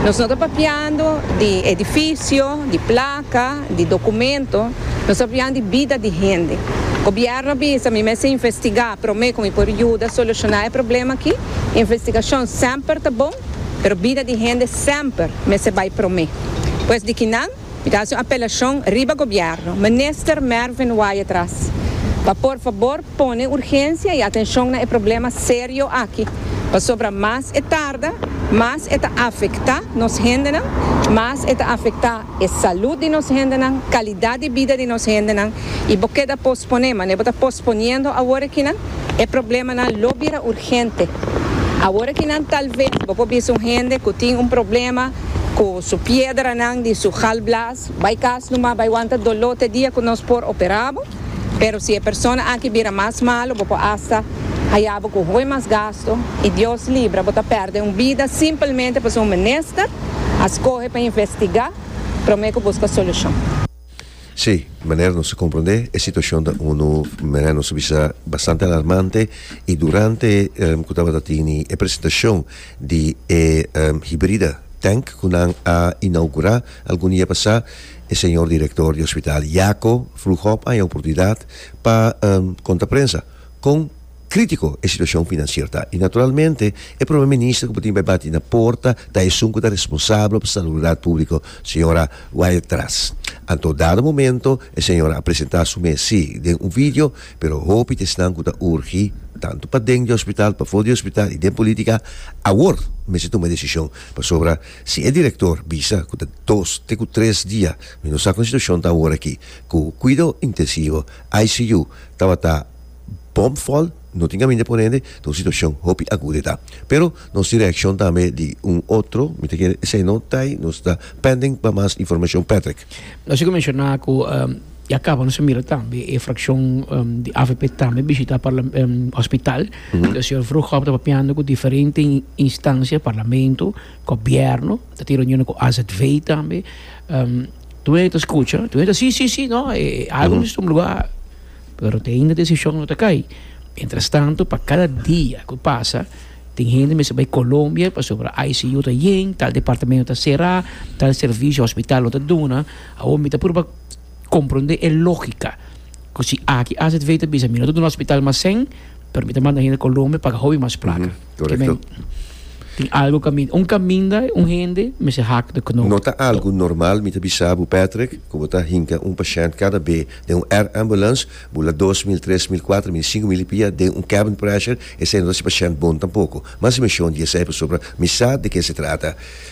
Nos no ta papiando di edifisio, di plaka, di dokumento, nos ta papiando di bida di hende. Gobièrnu a bisa mi mester investigá promé ku mi por yuda solushoná e problema aki. Investigashon semper ta bon. Pero bida di hende semper mester bai prome. Pues di kinan? Mi ta hasi un apelashon riba gobièrnu, Minister Mervin waya tras pa por fabor pone urgensia i atenshon na e problema serio aki, pasobra mas e tarda, mas e ta afektá nos hendenan, mas e ta afektá. E salud di nos hendenan, calidad di bida di nos hendenan y bo keda posponé, manera bo ta posponiendo awor aki nan, e problemanan lo bira urgente. Awor aki nan tal vez bo por bisa un hende cu tin un problema cu su piedranan di su gallblaas, bay cas nu mas, bay wanta dolor te dia cu nos por opera bo. Pero si e persona aki bira mas malu, bo por hasta hayabo cu hui mas gasto y Dios libra bo ta perde un bida simpelmente pasobra un minister a scoge pa investiga prome cu busca solucion. Si, manera nos ta comprende, e situacion ta unu manera nos ta bisa sa bastante alarmante y durante cu tabata tini e presentacion di e hibrida tank cu nan a inaugura algun dia pasa E señor director di hospital Jaco Vroegop a e oportunidad pa conta prensa con critico e situacion financier ta y naturalmente e Prome Minister cu bo tin bay bati na porta ta esun cu ta responsabel pa salubridad publico señora Wyatt Tras. Anto dado momento e señora a presenta su mes si den un video pero hopi ta esnan cu ta urgi tanto paden di hospital, pafor di hospital y den politica awor mester tuma e decision pasobra Si e direktor bisa ku ta dos te ku tres dia, mi no sa kon situashon ta awor aki. Ku kuido intensivo, ICU, tabata bòmfòl, no tin kaminda ponende, ta un situashon hopi aguda e ta. Pero nos tin reakshon tambe di un otro, mi ta kere esei no ta ei, nos ta pending pa mas informashon Patrick. Así ku menshoná ku. I a kaba nos a mira tambe e frakshon di avp tambe bishitá hospital i señor Vroegop ta papiando ku diferente instansia parlamento gobièrnu ta tin reunionan ku azv tambe tur hende ta skucha tur hende ta si si si no algu mester tuma lugá pero te ainda desishon no ta kai mientras tanto pa kada dia ku pasa tin hende mester bai Colombia pasobra ICU ta yen tal departamento ta será tal servisio hospital no ta duna awor mi ta purba. comprende e logica cu si aki azv ta bisa mi no ta duna hospital mas sen pero mi ta manda hende Colombia paga hopi mas placa. Mm -hmm. Correcto. Tin algo camin, un caminda, un hende, me se hak de knoop. No ta algo Top. normal, mi ta bisa bu Patrick, cu bo ta hinca un patiënt cada be den un air ambulance, bo la dos mil, tres mil, cuatro mil, cinco mil y pia den un cabin pressure, esey no ta si patiënt bon tampoco. Mas informacion di esey pasobra mi sa de ken se trata.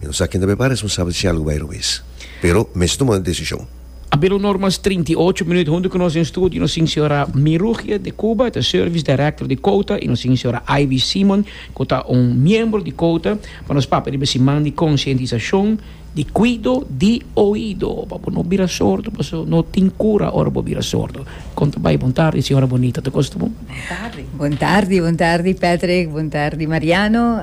Mi no sa ken ta b'e papá responsabel si algu bai robes, pero mester tuma un desishon. A bira un ormas trinta i ocho minut huntu ku nos den studio nos sin señora Mirugia de Cuba, ta Service Director di Cota, i nos tin señora Ivy Simon ku ta un miembro di Cota, pa nos papia riba siman di konsientisashon di kuido di oido, pa bo no bira sordo, paso no tin kura ora bo bira sordo. Kon ta bai? Bon tardi señora bonita, ta kosta bo? Bon tardi. Bon tardi, bon tardi Patrick, bon tardi Mariano.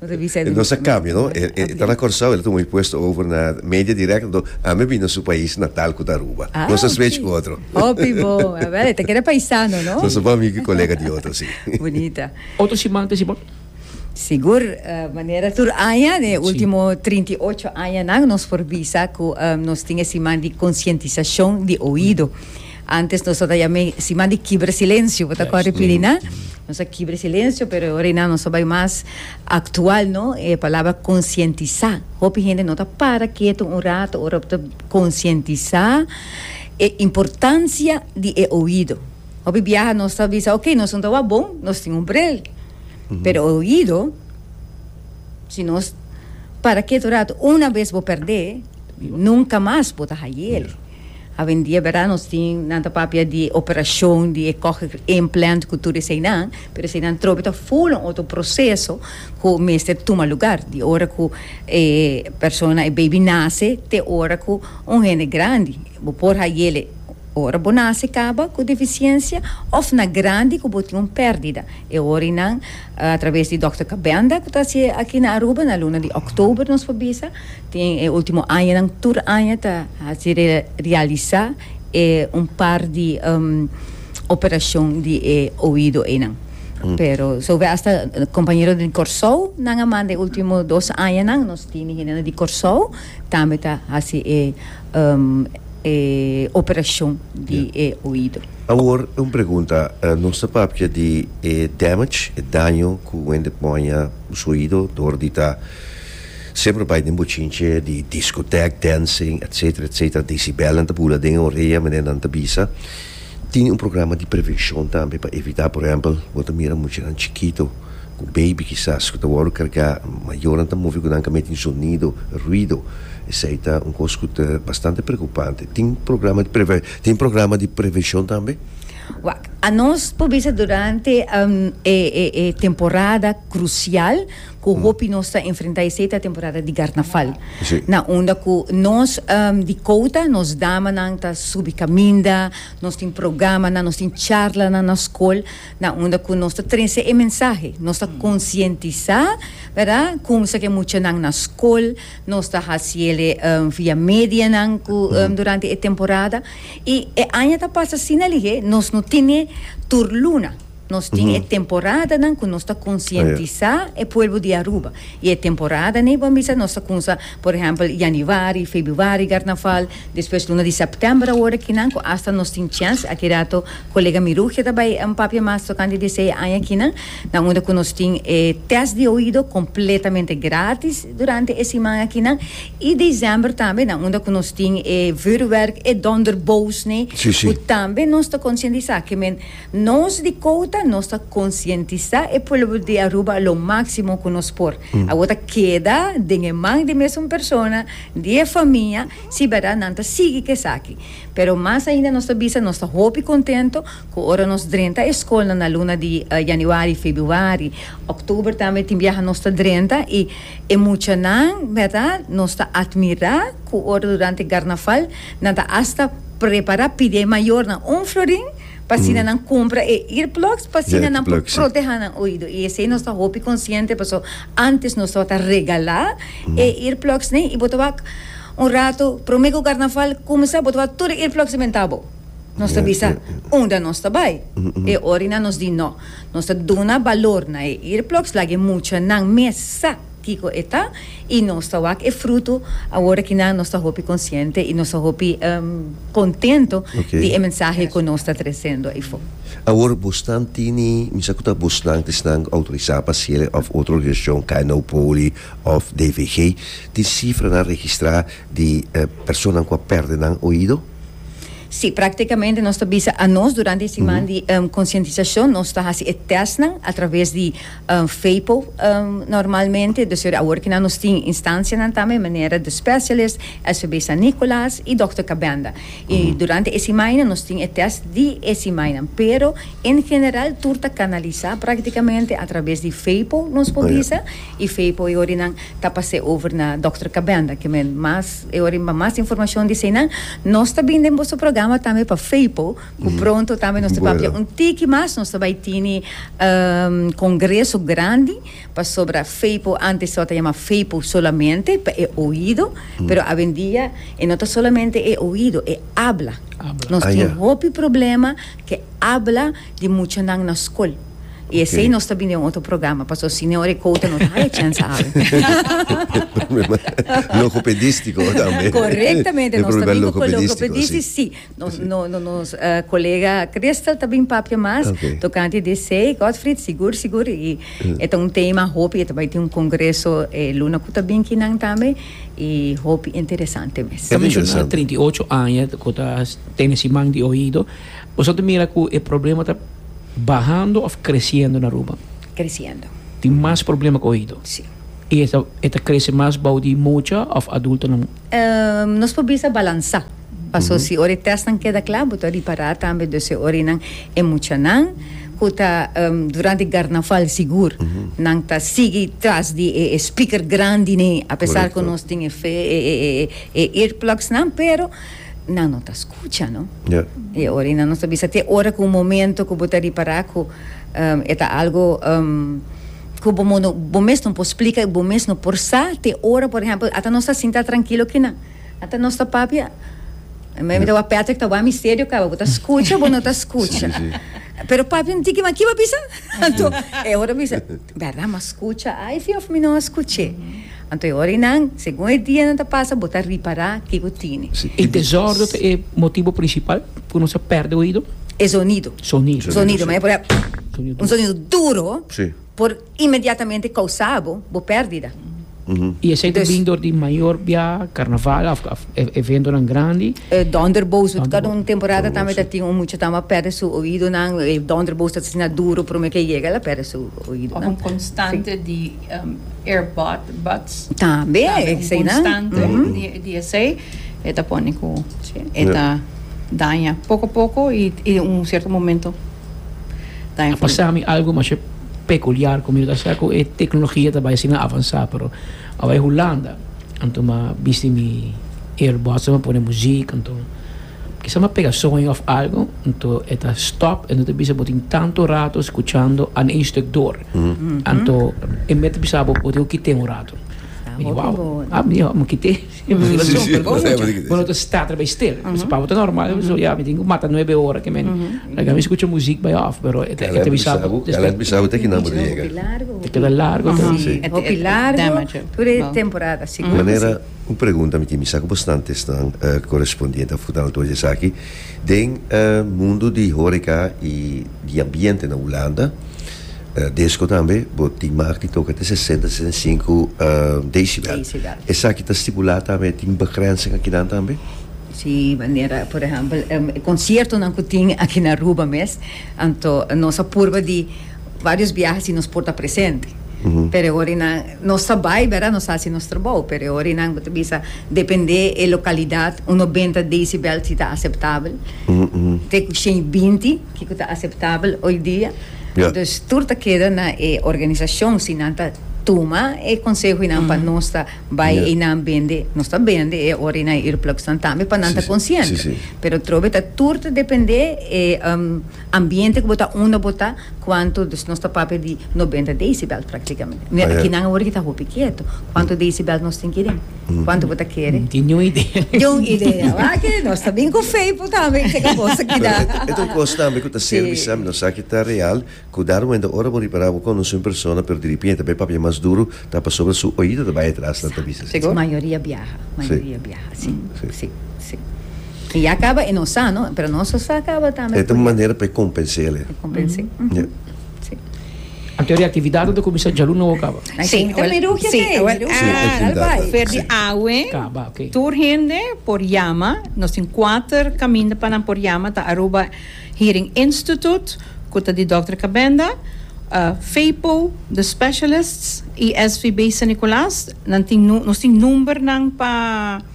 Entonces a cambio no e e ta na Corsou el a tuma mi puesto over na media directo enton ami a bini na su pais natal cu ta Aruba no sa switch cu otro Hopi bon a ver e ta keda paisano no. Entonces bo amigo y colega di otro si. Bunita. Otro siman ta siman? Sigur manera tur aña den e ultimo trinta i ocho añanan nos por bisa cu nos tin e siman di concientisacion di oido. Antes nos ta yam'é siman di kibra silencio, bo ta kòrdi Pili, na? Nos a kibra silencio, pero e ora einan nos a bai mas aktual, no? E palabra konsientisá. Hopi hende no ta para ketu un rato ora bo ta konsientisá e importansia di e oido. Hopi biaha nos ta bisa, ok, nos un tabata bon, nos tin un brèl. Pero e oido, si nos para ketu rato, una bes bo pèrd'é, nunka mas bo ta hai'é. Awendia bera nos tin nan ta papia di e operashon di e cochlear implant ku tur eseinan pero eseinan trobe ta full un otro proseso ku mester tuma lugar di ora ku e persona e baby nase te ora ku un hende grandi bo por hayele ora bo nase kaba ku deficiencia of na grandi ku bo tin un perdida e ora einan a traves di Doctor Kabenda ku ta hasi aki na Aruba na luna di October nos por bisa Den e ultimo añanan tur aña ta hasi realisá un par di operashon di e oido einan. Pero zover asta kompañero di Kòrsou nan a manda e ultimo dos añanan nos tini hendenan di Kòrsou tambe ta hasi e operashon di e oido. Awor un pregunta, nos ta papia di e damage, e daño ku wende pone su oido dor di ta. Semper bai den bochinche di discotheque, dancing, etc. Etc. Decibelnan ta bula den e orea manera nan ta bisa. Tin un programa di prevencion tambe pa evita, por ehempel, bo ta mira muchanan chikito cu baby kisas cu ta wordo carga, mayornan ta movi cu nan cami a tin sonido, ruido. Esey ta un cos cu ta bastante preocupante. Tin programa di preve, tin programa di prevencion tambe? Wak, anos por bisa durante e temporada crucial. ku hopi nos ta enfrentá esei ta temporada di garnafal. Na unda ku nos di kouta, nos damanan ta subi kaminda, nos tin programanan, nos tin charlanan na skol, na unda ku nos ta trese e mensahe, nos ta konsientisá, wèrdà, kumsa ku e muchanan na skol, nos ta hasiel via medianan ku durante e temporada. I e aña ta pasa asina lihe, nos no tene tur luna. Nos tin e temporadanan ku nos ta konsientisá e pueblo di Aruba. I e temporada nei bo a bisa nos ta kumsa por ehèmpel yanüari, febuari garnaval, despues luna di sèptèmber awor akinan ku asta nos tin chèns aki rato kolega Mirugia ta bai papia mas tokante di esei aña akinan nan unda ku nos tin e tèst di oido kompletamente gratis durante e siman akinan i desèmber tambe nan unda ku nos tin e vürwerk e donderbos nei ku tambe nos ta konsientisá ke men Nos di Kouta nos ta konsientisá e pueblo di Aruba lo máksimo ku nos por. Awor ta keda den e man di mesun persona di e famia si bèrdat nan ta sigui ku esaki. Pero mas ainda nos ta bisa nos ta hopi kontento ku ora nos drenta e skolnan na luna di yanüari, febuari, òktober tambe tin biaha nos ta drenta i e muchanan, bèrdat, nos ta atmirá ku ora durante garnaval nan ta asta prepará pidi e mayornan un florin. pa asina nan kumpra e earplugs pa asina nan por proteha nan oido i esei nos ta hopi konsiente paso antes nos tabata regala e earplugs ne i bo ta wak un rato prome ku karnaval kumsa bo ta wak tur e earplugs a benta bo nos ta bisa unda nos ta bai e orinan nos di no nos ta duna balor na e earplugs laga e mucha nan mes sa. Kiko e ta, i nos ta wak e frutu awor akinan nos ta hopi konsiente i nos ta hopi kontento di e mensahe ku nos ta tresendo eifo. Awor busnan tini, mi sa ku ta busnan ku esnan outorisá pa Cele òf otro organisashon, Kynopoli òf DVG, tin sifranan registrá di personanan ku a pèrdè nan oido? Si, praktikamente nos ta bisa anos durante e siman di konsientisashon nos ta hasi e tèstnan atraves di. Fepo normalmente dus oir awor ki nan nos tin instancianan tambe manera The Specialist, SVB San Nicolas y Dokter Cabenda. Y durante e simaina nos tin e test di e simainan pero en general tur ta canalisa practicamente a traves di Fepo nos por bisa y Fepo e ora nan ta pase over na Dokter Cabenda ke men mas e ora pa mas informacion di eseinan nos ta bin den boso programa tambe pa Fepo. Cu pronto tambe nos ta papia Bueno. un tiki mas. Nos ta bai tini ehm, congreso grandi pasobra Feipo antes lo ta llama Feipo solamente pa e oído, pero awendia e no ta solamente e oído, e habla. Habla. Nos Ah, tin ya. hopi problema ke habla di muchanan na skol. I Ok. esei nos ta bini den otro programa, paso si ne ora e kouta no ta haya chèns a habi. Problema logopedístico tambe. Correctamente, E nos ta problema biba con logopedístico, sí. logopedistis, sí. Nos no no nos uh, colega Crystal ta bin papia mas okay. tocante de sei Godfried sigur sigur y mm. eta un tema hopi eta bai tin un congreso eh, luna kuta bin kinan tambe y hopi interesante mes. Esta mencionar 38 años kuta tiene si man di oído. Vosotros mira ku e problema ta bajando of creciendo na Aruba? Creciendo. Tin mas problema ku oído? Sí. Y eta, eta crece mas bau di mucha of adulto? Um, nos pobisa balansa. Paso si ora e testnan keda kla bo ta ripara tambe dus e orinan e muchanan ku ta durante garnaval sigur nan ta sigui tras di e speaker grandi nei apesar ku nos tin e fe e earplugs nan pero nan no ta skucha no e orinan nos ta bisa te ora ku un momento ku bo ta ripara ku e ta algo ku bo bo mes no por splika i bo mes no por sa te ora por ehempel ata nos ta sinta trankilo kinan. Ata nos ta papia mi ta wak Patrick ta wak mi sterio kaba bo ta skucha o bo no ta skucha pero papia un tiki mas kiba bisa anto e ora mi bisa berdad mi a skucha ai fi of mi no a skuche anto e ora nan segun e dianan ta pasa bo ta ripara ki bo tini. E desordo ta e motibo principal ku nos a perde oido? E zonido. Zonido. Zonido, maya por eha un zonido duro. Por inmediatamente causa bo bo perdida. Y esey ta bin door di mayor biaha carnaval of eventonan grandi. Thunderbolts, bo ta keda un temporada tambe ta tin un mucha tambe a perde su oidonan, e thunderbolts ta asina duro, prome ke yega el a perde su oidonan. Of un constante di ear buds. Tambe, esey nan. Tambe un constante di esey e ta pone cu e ta daña poco poco y un cierto momento. Ta enfrentá. Pasa mi algu masha pekuliar ku mi no ta sa ku e teknologia ta bai asina avansá, pero awe e Hulanda, anto mi a bisti mi earbuds mi a pone muzik, anto kisa mi a pega soño òf algu, anto e ta stòp, e no ta bisa bo tin tantu ratu skuchando An Eén Stuk Door. Anto e mester bisa bo bo tin ku kité un ratu. Mi di, wou, a mi a kité. Imaginacion pero bon mucha bo no ta sta ta bai stil so pabo ta normal mi so ya mi tin ku mata nuebe ora ke men like mi skucha muzik bai off pero e ta e ta bisa bo Kala e bisa bo te kinan bo ta yega te keda largo ta si Hopi largo tur e temporada si Bo manera un pregunta mi tin mi sa ku bastante esnan korespondiente a futbal anto di esaki den mundo di horeka i di ambiente na Hulanda. Disco tambe bo tin mark di toka te sesenta, sesenta i sinku decibel. Decibel. Esaki ta stipulá tambe, tin begrensin akinan tambe? Sí, manera por ehèmpel e konsiertonan ku tin aki na Aruba mes, anto nos a purba di vários biaha si nos por ta presente. Pero e hora nan nos ta bai, bèrdad, nos ta hasi nos trabou, pero e hora nan bo ta bisa dependé e lokalidat un nobenta decibel si ta aseptabel te ku shen binti. Kico ta aceptabel hoy dia. Dus tur ta keda na e organisacion si nan ta tuma e conseho y nan pa nos ta bay eynan bende. Nos ta bende e ora y nan yir plug staan tambe pa nan ta consciente. Pero trobe ta tur ta depende e ambiente cu bo ta unda bo ta cuanto dus nos ta papia di noventa decibel practicamente. Mira aki nan awor ki ta hopi keto. Cuanto decibel nos tin kiren. Cuanto bo ta kere? Tin di un idea. Di un idea. Aki nos ta bin cu Facebook tambe y teka cos ta kida. Pero e ta un cos tambe cu ta serbi sa, nos sa ki ta real, cu darcuenta ora bo ripara bo conoci un persona pero diripiente bai papia mas duro ta pasobra su oido ta bai atras nan ta bisa si. Exacto. Mayoria biaha. Mayoria biaha. Si. Si. Si. Y ya caba e nos sa, no? Pero nos lo sa caba tambe. E ta un manera pa e compensele. Pa e compens'e. Ya. Anto e reactividad lo ta cuminsa djalu no wou caba? Sí, ta mirugia ta e, mirugia al bay. Fer di awe, tur hende por yama, nos tin kuater kaminda pa nan por yama, ta Aruba Hearing Institute, ku ta di Dòkter Kabenda, FEPO, The Specialists, i SVB Sint Nicolaas, nan tin, nos tin numbernan pa.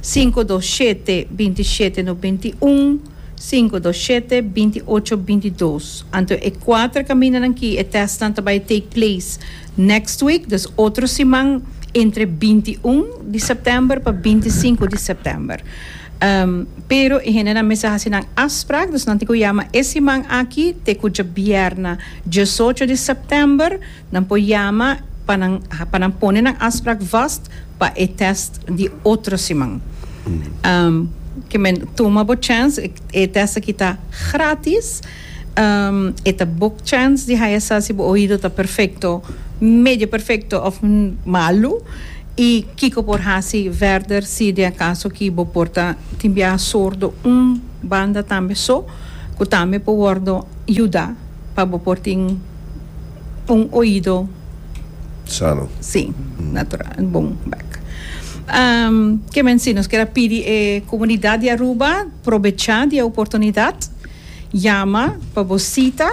Sinku dos shete binti shete no binti un, sinku dos shete binti ocho binti dos. Anto e kuater kamindanan ki e tèstnan ta bai take place next week, dus otro siman entre binti un di sèptèmber pa binti sinku di sèptèmber. Pero e hendenan mester hasi nan afsprak, dus nan tin ku yama e siman aki te ku djabièrna diesocho di sèptèmber Nan por yama pa nan pa nan pone nan afspraak vast pa e test di otro siman. Ehm ke men tuma bo chèns, e test aki ta gratis. Ehm e ta bo chèns di haya sa si bo oido ta perfecto, medio perfecto of malu y kiko por haci verder si den e caso ki bo por ta tin bia sordo un banda tambe so, cu tambe por wordo yuda pa bo por tin. un oido sano si natural bon back um ke men si nos kier a pidi e comunidad di Aruba probecha di e oportunidad llama pa bo cita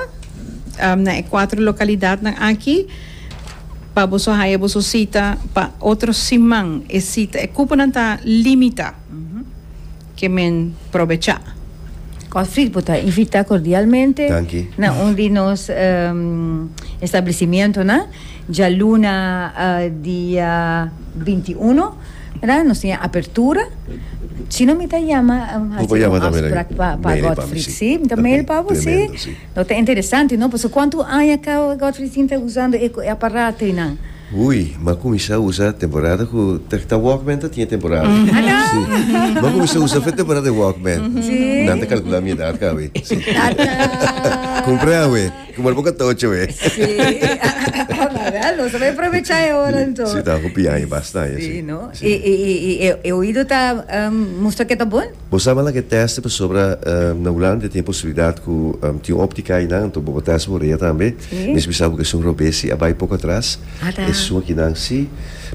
um na e cuatro localidad nan aki pa boso haya boso cita pa otro siman e cita e cupo nan ta limita. ke men probechá. Kòfrik bo ta invitá kordialmente na un di nos establesimentonan djaluna dia binti i uno, mira, nos tin e apertura. Si no mi ta yama hasi un afsprak pa Godfrik, si, mi ta mail pa bo, si. No ta interesante no, pasobra cuantu aña cabo e Godfrey tin ta usando e aparato eynan? Ui, m'a cuminsa usa temporada cu ta ta walkman ta tin e temporada. Si, m'a cuminsa usa fe temporada e walkman. Nan ta calcula mi edad ca awe. Si. Cumpre awe, cu mor bo catocho awe. Si, ahora wèl, nos ta bay provecha e ora enton. Si, ta hopi aña, basta aña si. Si no, e oido ta mustra que ta bon? Bo sa bo na ke tèst'e pasobra na Hulanda e tin e posibilidat ku tin un òptika einan, anto bo por tèst bo orea tambe, mes bisa bo ke esun robé si a bai poko atras, esun akinan si.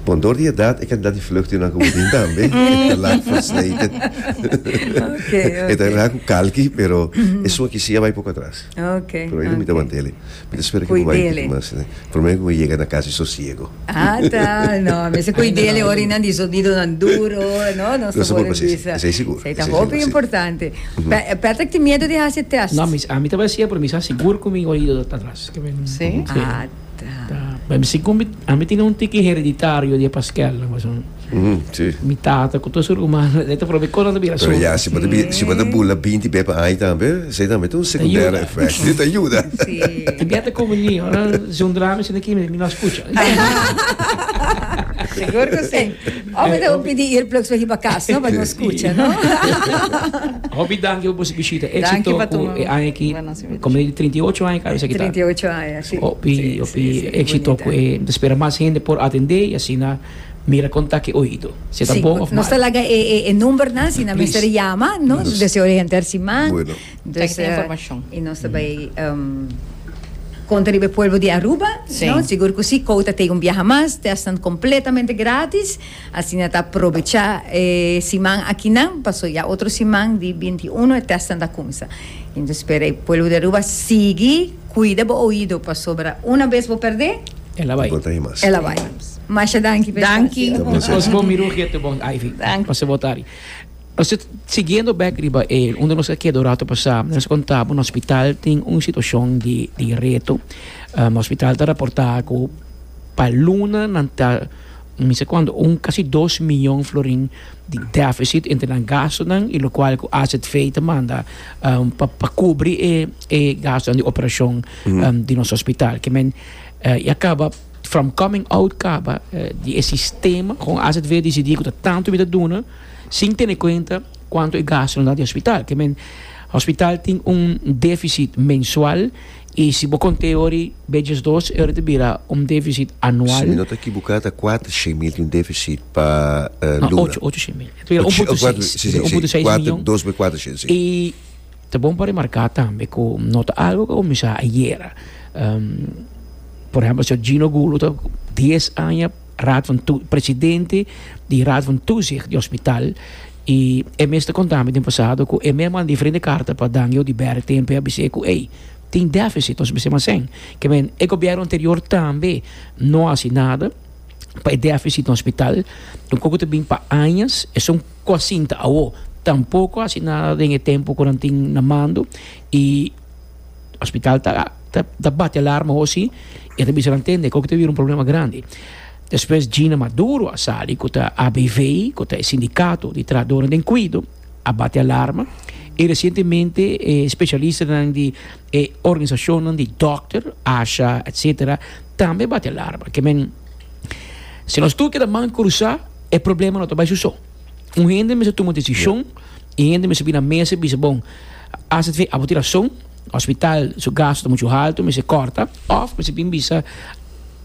Bon, dor di edat e kandidat di flùktio nan ku bo tin tambe ta laag versleten. E ta enraha ku kalki, pero esun aki si a bai poko atras. Pero einan mi ta mantele. Cuidele. Ah ta, no, mester cuidele ora y nan di su didonan duro, no, nos ta por bisa. Esey ta hopi importante. Patrick tin miedo di haci test? No, mi, ami ta bai hacia pero mi sa sigur cu mi oido ta atras. Si? Ah ta. Ami tin un tiki hereditario di e paskelan. Mi tata ku tur su rumannan esei ta proba e kosnan ta bira sufri. Pero ya, si bo ta si bo ta bula binti bebe ai tambe, esei tambe ta un sekundero efèkto. Esei ta yuda. Te bia ta komo nio, nan si un drama esin aki mi no a skucha. Sigur ku si. Òf mi ta pidi ir pluksba hiba kas no pa no skucha no. Hopi danki pa boso bishita. Éksito ku e aña aki. Komo nan di trinta i ocho aña kaba sa kita. Trinta i ocho aña, si. Hopi hopi éksito ku e mi ta spera mas hende por atendé i asina. Mira con ta ki oido. Si ta bon of mal. Nos ta laga e numbernan asina mester yama, no? Dor si oriente Arcima. Bueno. Ta ki tin informacion. Y nos ta bay conta riba e pueblo di Aruba, no? Sigur cu si. Cota ta un biaha mas. Testnan completamente gratis. Asina ta aprobecha e siman akinan. Paso ya otro siman di binti uno e testnan ta cumsa. Entonces spera e pueblo di Aruba sigui cuida bo oido. Pasobra una bes bo perde. El a bai. El a bai. Masha danki pa espacio. Danki. Nos nos bo miru getu bo Ivy. Danki. Pasa bo tari. Nos siguiendo bek riba e unda nos a keda un rato pasá. Nos konta bo nos hospital tin un situashon di di reto. Nos hospital ta raportá ku pa luna nan ta misa kuando un kasi dos miyon florin di deficit entre nan gastunan i lokual ku AZV ta manda pa pa kubri e e gastunan di operashon di nos hospital. Ke men. E a kaba from coming out kaba di e sistema kon AZV disidí ku ta tantu mi ta duna sin tene kuenta kuantu e gastu nan ta den hospital ke men hospital tin un defisit mensual i si bo konte yori beges dos yori ta bira un defisit anual. Si mi no ta kibuká ta kuater shei mil di un defisit pa luna. No ocho ocho shei mil ta bira un punto seis un punto seis milyon. Dos be kuater shei si. Ta bon pa remarká tambe ku no ta algu ku a kuminsá ayera. Por ehèmpel señor Gino Gulu ta dies aña raad van toe, presidente di Raad van Toezicht di hospital i e mes ta konta mi den pasado ku e mi a manda diferente karta pa Dangio di Berg tempo i a bis'é ku ei, tin dèfisit, nos mester mas sen. Ke men, e gobièrnu anterior tambe no a hasi nada pa e dèfisit den hospital. Tok ku ta bin pa añas esun. Cu a sinta awo. Tampoco a haci nada den e tempo cu nan tin na mando y hospital ta ta bati alarma awo si y a ta bisa nan tende cu cu ta bira un problema grandi. Despues Gina Maduro a sali cu ta ABV cu ta e sindicato di trahadoren den Cuido a bati alarma y recientemente e specialistanan di. E organisacionnan di dokter, asha, etc. Tambe bati alarma ke men, si nos tur keda manga crusa, e problema no ta bai su so. Un hende mester tuma un decision y hende mester bini na mesa y bisa, bon, asv abo tin razon, hospital su gasto ta mucho halto, mester corta, of mester bin bisa,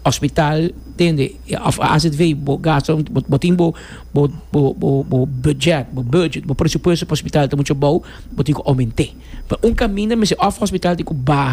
Hospital tende of azv bo gasto bo tin bo bo bo bo bo budget bo budget bo presupuesto pa hospital ta mucho bou bo tin ku oment'e pa un kaminda mester of hospital tin ku baha